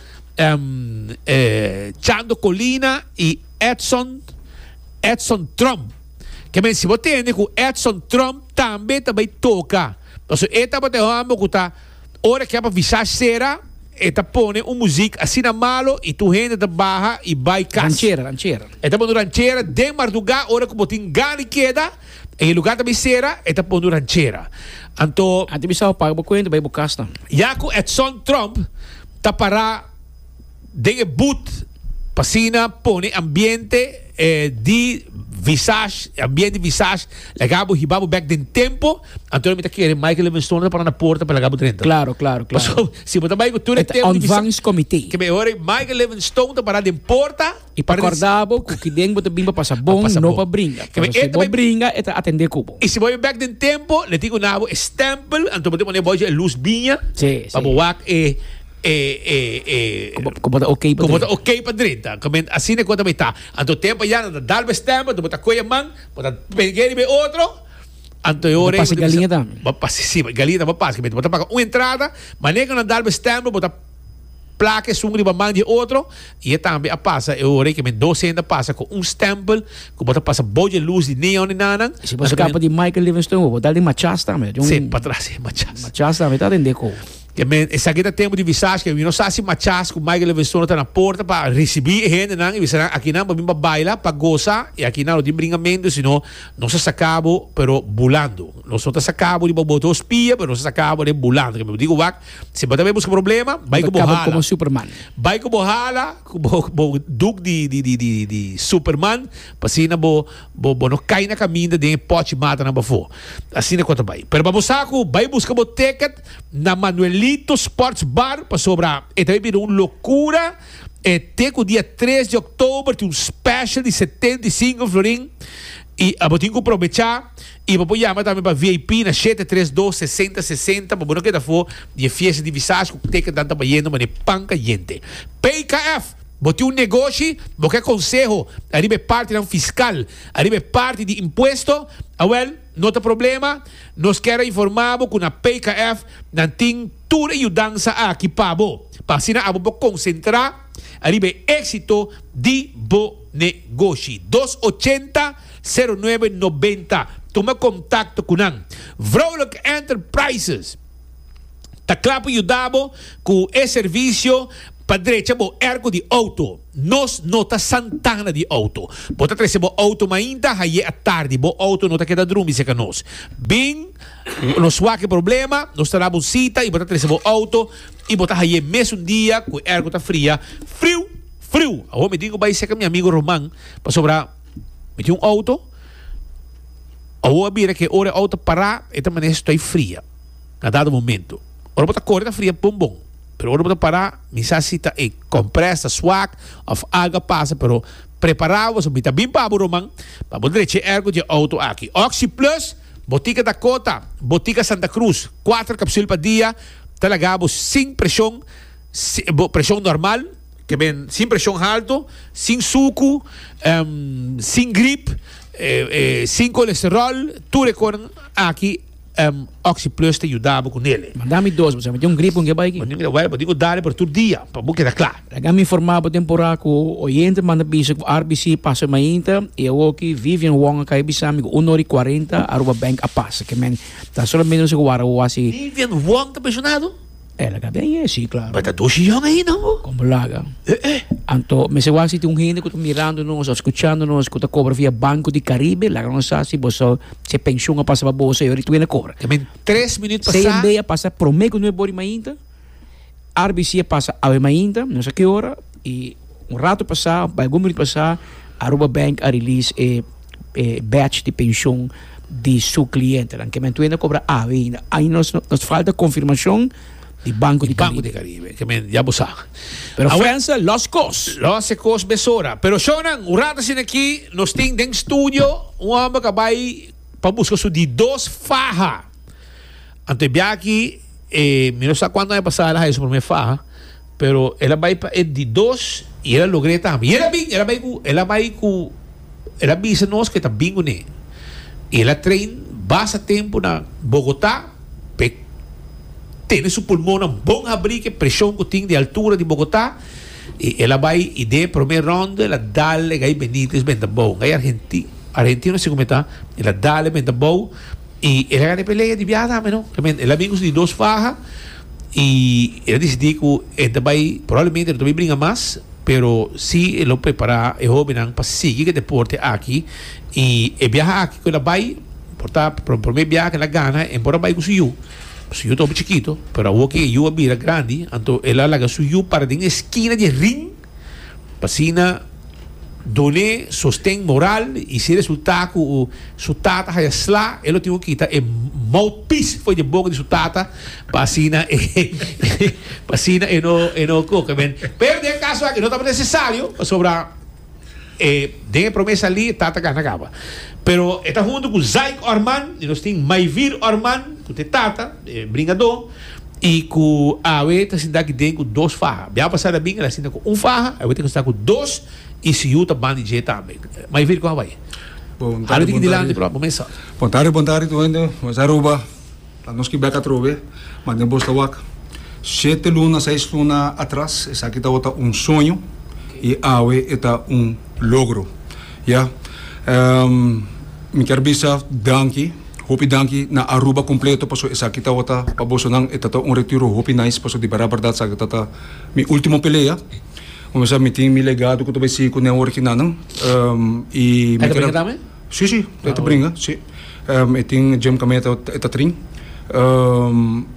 Chando Colina i Edson Edson Trump kemen si bo tende ku Edson Trump tambe ta bai toka paso e tabata e homber ku ta Ora ke a pa visá sera e ta pone un muzik asina malo i tur hende ta baha i bai kas. Ranchera, ranchera. E ta pone ranchera den mardugá ora ku bo tin gana di keda en e lugá ta bai sera e ta pone ranchera. Anto. Anti bisá bo paga bo kuenta bai bo kas nan. Yaku Edson Trump ta pará. den e boot pa asina pone ambiente di visage ambiente di visage laga bo hiba bo bek den tempo anto mi ta kere Michael Livingstone ta para na porta pa laga bo drenta Claro, claro, claro. paso si bo ta bai ku tur e tempo di visage Ontvangst comité. kebe e ora ei Michael Livingstone ta para den porta I pa korda bo ku kiden bo ta bin pa pasa bon, pasa no bon. pa bringa. Kebe Paso e si ta bo bai- bringa, e ta atendé ku bo. i si bo bai bek den tempo le tin ku na bo e stempel anto bo tin pone bojo e luz biña Sí, pa sí. bo wak e Como ta ok pa drinta. Como ta ok pa drinta. Asina e cosa mi ta. Anto tempo ya nan ta dal be stem, bo ta coge e man, bo ta pega riba e otro, anto e ora ei. Bo ta pasa galinha tambe. Bo ta pasa, si, galinha tambe bo ta pasa. Bo ta paga un entrada, manera cu nan dal be stem, bo ta placa esun riba man di e otro, y e tambe a pasa e ora ei cu men dos hende a pasa cu un stempel cu bo ta pasa bou dje luz di neon di nan nan. Si bo scapa di Michael Livingston, bo bo dal di machas tambe. Si, patras, si, machas. Machas tambe ta rende ecou. E men, esaki ta tempu di visá sken. Mi no sa si machás ku Michael Livingstono ta na porta pa risibí e hendenan i bisa nan, Aki nan bo bin pa baila, pa gosa i aki nan lo tin bringamentu, sino nos a saká bo, pero bulando. Nos no ta saká bo riba bo otro spia, pero nos a saká bo den bulando. Kende bo di ku wak, si bo ta bai buska problema, bai ku bo hala. Bai ku bo hala, ku bo bo duk di di superman, pa asina bo bo bo no kai na kaminda den e pòchi matanan pafó. Asina ku ta bai. Pero pa bo sa ku bai buska bo ticket, na Manuelito Sports Bar pasobra e ta bira un locura, e te cu dia tres di october tin un special di setenta i sinku florin y bo tin cu probecha y bo por yama tambe pa vip na shete tres dos sesenta sesenta pa bo no keda for di e fiesta di visage cu teken tanta bayendo mane pan cayente. PKF Bo tin un negoshi, bo ke conseho ariba e partinan fiscal, ariba e parti di impuesto, awel. No ta problema, nos kier a informa bo cu na PKF nan tin tur e yudansa aki pa bo, pa asina abo por concentra ariba e exito di bo negoshi. Dos ochenta, sero nuebe nobenta, tuma contacto cu nan. Vrolijk Enterprises ta cla pa yuda bo cu e servicio pa drecha bo erco di auto. Nos no ta Santana di auto. Bo ta trece bo auto mainta haye a tardi. Bo auto no ta keda drumi se ka nos. Bin nos wake problema, nos ta dabo un cita y bo ta trece bo auto y bo ta haye mes un dia cu ergo ta fria. Friu! Friu! Awo mi tin cu bay seca mi amigo Roman pasobra mi tin un auto. Awo a bira ke ora e auto para e ta manes stoy fria. A dado momento. Ora bo ta core ta fria bon bon. Pero ora bo ta para, mi sa si ta e compres ta swak of algo a pasa, pero prepara bo, so mi ta bin pa bo Roman pa bo drecha e ergo dje auto aki. Oxi Plus, Botica Dakota, Botica Santa Cruz, cuater capsul pa dia, ta laga bo sin presion, bo presion normal, ta ben sin presion halto, sin sucu, sin grip, sin colesterol, tur e conan aki. Oxi plus ta yuda bo cu nele. Manda mi dos, bo sa cu tin un gripo n'ke bai aki. Bo tin mira wèl, bo tin cu dale por tur dia, pa bo keda cla. Laga mi informa bo temporá cu oyente manda bisa cu RBC pasa e mainta y awoki Vivian Wong a cay bisa mi cu un ora y cuarenta Aruba Bank a pasa. Ke men ta solamente bisa cu wara bo wasi. Vivian Wong ta pensionado? E laga den e si claro. Bai ta dushi yon ahi nan bo. Con bo laga. E e. Anto mester wak si tin un hende cu ta mirando nos of scuchando nos cu ta cobra via Banco di Caribe laga nos sa si boso si e pensioen a pasa pa boso e ora y tu hende a cobra. Te meen tres minuut pa sa. CNB a pasa prome cu nuevo body mainta. RBC a pasa awe mainta nos sa ki ora y. Un rato pasá, bai algun minut pasá, Aruba Bank a release e e batch di penshon di su klientenan. Ke men tuenda kobra awe ainda. Ain nos nos falta konfirmashon di Banko di Karibe. Di Banko di Karibe, ke men ya bo sa. Pero Awe- Frensa lòs kos. Lòs e kos mesora. Pero shownan, un rato asina aki nos tin den studio un hòmber ku a bai pa buska su di dos faha. Ante biachi e mi no sa cuantu aña pasá el a haña su promé fa, pero el a bai pa e di dos i el a logr'é tambe. I el a bin, el a bai ku, el a bai ku, el a bisa nos ku e ta bin ku ne. I el a train basta tempu na Bogotá pa e tene su pulmonnan bon habrí ku e preshon ku tin di altura di Bogotá. I el a bai i den e promé rònda el a dal e Gay Benitez benta abou. Un Gay argenti, argentino si ku mi ta, el a dal e benta abou. Y el a gana e pelea di biaha tambe, no? Realmente, el a bin cu su di dos faha y el a dicidi cu e ta bay, probablemente e no ta bay bringa mas, pero si e lo prepara e hobennan pa sigui cu e deporte aki. Y e biaha aki cu el a bay, por ta por e prome biaha cu el a gana, e por a bay cu su yu. Su yu ta hopi chikito, pero awo cu e yu a bira grandi, anto el a laga su yu para den e esquina di e ring. P'asina dun'é sosten moral i si resultá ku su tata haya slá e lo tin ku kita e mouthpiece for di boka di su tata p'asina e p'asina e no e no koka bèn. Pero den e kaso aki no tabata nesesario pasobra e den e promé salí e tata gana kaba. Pero e ta huntu ku Zaik Orman i nos tin Maivir Orman ku ta e tata. bringadó i ku awe ta sintá aki den ku dos faha. Bia pasá ta bin el a sinta ku un faha, awe ta kustá ku dos i si yu ta ban di dje tambe. Mai vir kon a bai. Awe ta ki dilanti pròpi bo mesa. Bontadi, bontadi tur hende. Bo mesa Aruba. Ta nos ki bèk atrobe. Mande bos ta wak. Shete luna, seis luna atras esaki tabata un soño i awe e ta un logro. Ya. Mi kier bisa danki. Hopi danki na Aruba completo paso esaki tawata pa boso nan e tata un retiro hopi nice paso di bera berdad saki tata mi ultimo pelea como misa mi tin mi legado cu ta bai sigui cu neo original nan y mi ta bringa tambe? Si si e ta bringa si e tin Jim Cameta e ta trin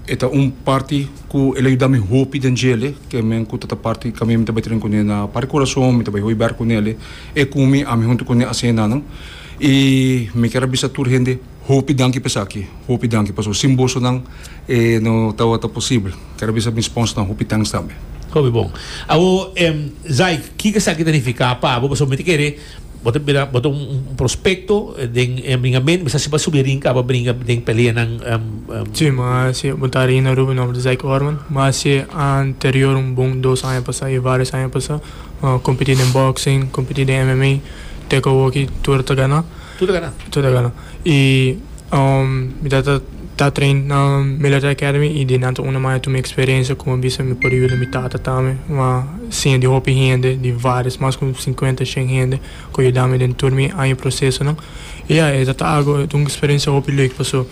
e ta un parti cu el a yudami hopi den djele ke men cu tata parti caminda mi ta bai trin cune na parti curason mi ta bai hui ber cu nele e cu mi ami hunto cune a cena nan. I mi kier a bisa tur hende hopi danki pa esaki, hopi danki pasobra sin bosonan e no tabata posibel. Kier a bisa mi sponsornan hopi thanks tambe. Hopi bon. Awor, Zaik, kiko esaki ta nifiká pa bo? Pasobra mi ta kere bo ta bira, bo ta un prospekto den e bringamentu, mi sa si bo a subi arin kaba bringa den peleanan. Sí, mi a hasi e punta arin na Ruben, mi nomber ta Zaik Orman. Mi a hasi anterior un bon dos aña pasá i vários aña pasá. Mi a kompití den bòksing, kompití den MMA. Te cu awoki tur ta gana. Tur ta gana. Tur ta gana. Y um mi ta ta train na Military Academy y den anto un a maya tu mi experiencia cu mi a bisa mi por yuda mi tata tambe. Mi a siña di hopi hende, di varios, mas cu cincuenta, shen hende cu a yuda mi den tur mi aña procesonan. Y ya, e ta ta algo, un experiencia hopi lek paso.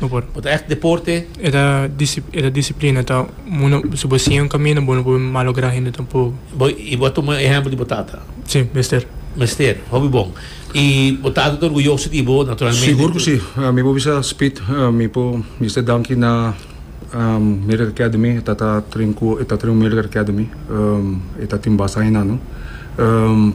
No por. Bo ta echt deporte. E ta e ta disiplina ta uno si bo siña un kamino bo no por malogra hende tampoco. Bo y bo a tuma ehempel di bo tata? Si, mester. Mester, hopi bon. Y bo tata ta orguyoso di bo naturalmente. Sigur cu si. Mi por bisa Speed mi por mester danki na Medical Academy e ta ta train cu e ta train Medical Academy e ta tin basta aña nan.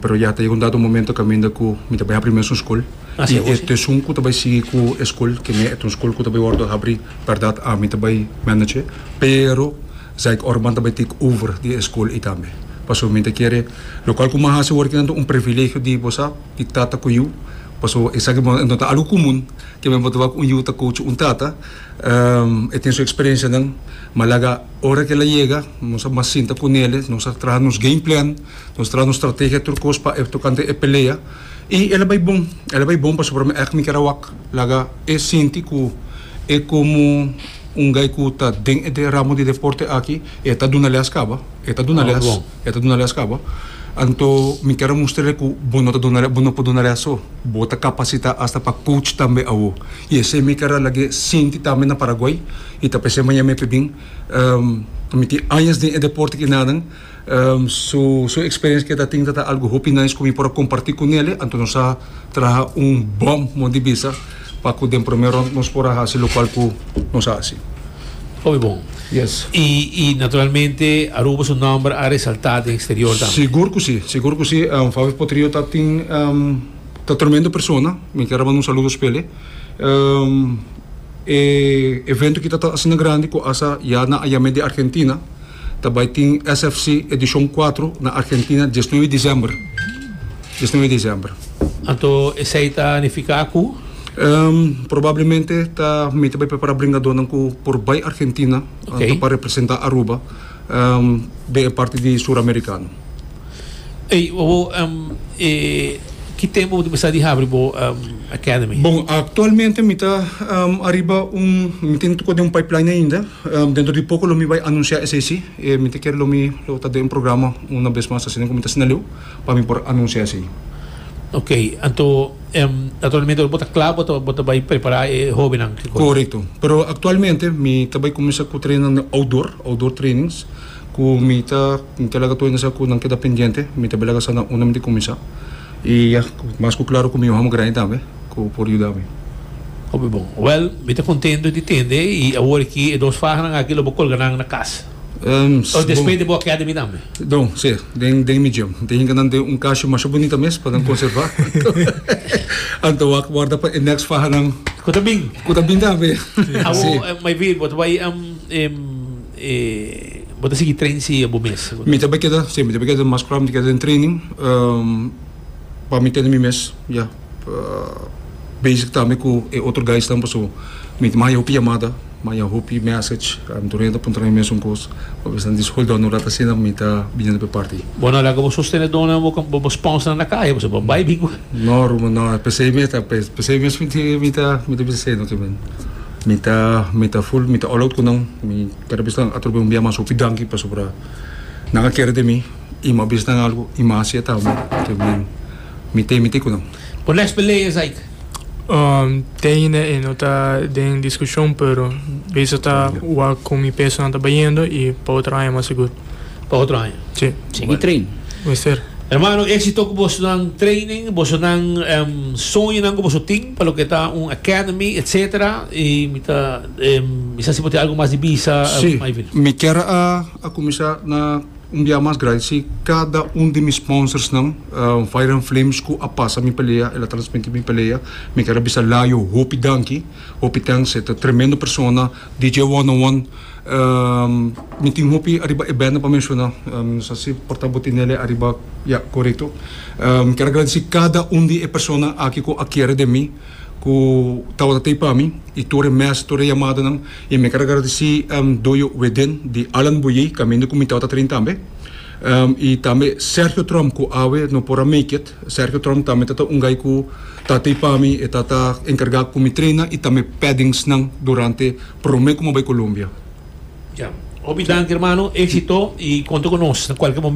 Pero ya ta yega un dado momento caminda cu mi ta bay ha primer esun school. I e tesun ku ta bai sigui ku e skol, ke mester ta un skol ku ta bai wòrdu habrí, bèrdat ami ta bai mènèch'e, pero Zaik Orban ta bai take over di e skol ei tambe. Pasobra mi ta kere lokal ku mi a hasi awor kinan ta un privilegio di bo sa, di tata ku yu, pasobra esaki bo no ta algu komun ke men bo ta wak un yu ta kouchi un tata. E tin su eksperensianan, m'a laga ora ke el a yega, nos a mas sinta ku nele, nos a traha nos game plan, nos a traha nos strategia tur kos pa e tokante e pelea. I el a bai bon, el a bai bon pasobra mi èk mi keda wak. Laga e sinti ku e komo un gai ku ta den e ramo di deporte aki, e ta duna lès kaba, e ta duna lès, e ta duna lès kaba. Anto mi keda mustr'e ku bo no ta duna lès, bo no por duna lès so. Bo ta kapasitá asta pa coach tambe awo. I esei mi keda lag'é sinti tambe na Paraguay i ta p'esei maña mi a p'e bin. Mi tin añas den e deporte aki naden. Su su experiencia que ta tin ta algo hopi nice cu mi por a comparti cu nele, anto nos a traha un bom mon di bisa pa cu den prome rond nos por a haci locual cu nos a haci. Hopi bon. Yes. Y y naturalmente Aruba su nomber a resalta den exterior tambe. Sigur cu si, sigur cu si. Fabio Potrillo ta tin ta tremendo persona, mi ker a manda un saludo spele. E evento aki ta ta asina grandi cu asa ya nan a yam'e di Argentina. Ta bai tin SFC edishon kuatro na Argentina diesnuebe disember, diesnuebe disember. Anto esei ta nifiká ku? Probablemente ta mi ta bai prepará bringadónan ku por bai Argentina, anto pa representá Aruba den e parti di Suramerikano. Ey, bo, um, e, ki tempo bo ta bisa di habri bo um, academy? Bon, aktualmente mi ta um, ariba un, mi tin toko den un pipeline ainda. Um, dentro di poko lo mi bai anunsia esei si. E, mi ta kere lo mi lo ta den un programa una bes mas asina ku mi ta asina leu pa mi por anunsia esei. Ok, anto, um, naturalmente ora bo ta kla bo ta, bo ta bai prepara e hobennan, ki kos? Korekto. Pero aktualmente mi ta bai kuminsá ku trena na outdoor, outdoor trainings. Ku mi ta ke laga tur hende sa ku nan keda pendiente mi ta bai laga sa nan unda mi tin kuminsá i ya mas ku klaru ku mi yohanan grandi tambe ku por yuda mi. Hopi bon. Wèl, mi ta kontentu di tende i awor aki e dos fahanan aki lo bo kolga nan na kas. O despues di bo a keda mi tambe? Bon, si, den den mi djem. Mi ta hinka nan den un kashi masha bunita mes pa nan konservá. Nan ta wak wòrda pa e next fahanan. Ku ta bin. Ku ta bin tambe. Si. Awor, mai bir, bo ta bai E bo ta sigui train si bo mes? Mi ta bai keda, si, mi ta bai keda mas proba mi ta keda den training, pa mi tene mi mes ya bezig tambe ku e otro guysnan pasobra mi ta manda hopi yamada, manda hopi message, mi ta orienta puntra mi mes un kos, mi esnan diskulpa no ora ta asina mi ta biniendo pa e parti. Bo no a laga bo sostenedónan, bo sponsnan na kaya pasobra bo a bai bin ku. No Ruben, no, p'esei mi ta, p'esei mes mi ta bisa asina tambe. Mi ta mi ta full mi ta all out ku nan mi kada bisa nan atrobia un bia mas hopi danki pasobra nan a kere den mi i mi a bisa nan algu i mi a hasi e tambe te mi mi te miti ku nan. Por next pelea esei ke? Um te ainda e no ta den diskushon pero bisa ta wak ku mi peso nan ta bayendo i pa otro aña mas sigur. pa otro aña. Sí. Sigui train. Mester. Hermano, éxito cu bosonan training, bosonan em, soñonan cu boso tin pa loke ta un academy, etcétera. Y mi ta, em, mi sa si bo tin algo mas di bisa, em, Sí. mai vino. Mi kier a a cuminsa na un biaha mas grandi si cada un di mi sponsorsnan, em, Fire and Flames cu a pasa mi pelea, el a transmiti mi pelea. Mi kier a bisa Layo hopi danki, hopi thanks. E ta tremendo persona. DJ Wonne Wonne, mi tin hopi ariba e bènda pa menshona, no sa si por ta bo tinele ariba, ya, korekto. Mi ker a gradisí kada un di e persona aki ku a kere den mi, ku tabata tei pa mi, i tur e mèsè, tur e yamadanan. I mi ker a gradisí Doyo Wedén di Alan Boyer, kaminda ku mi tabata trin tambe. I tambe Sergio Tromp, ku awe no por a make it. Sergio Tromp tambe ta ta un guy cu ta tey pa mi, e ta ta encarga cu mi traina y tambe pedingsnan durante prome cu mi a bay Colombia. Ya. Hopi danki hermano, exito y conta cu nos na cualkier momen-.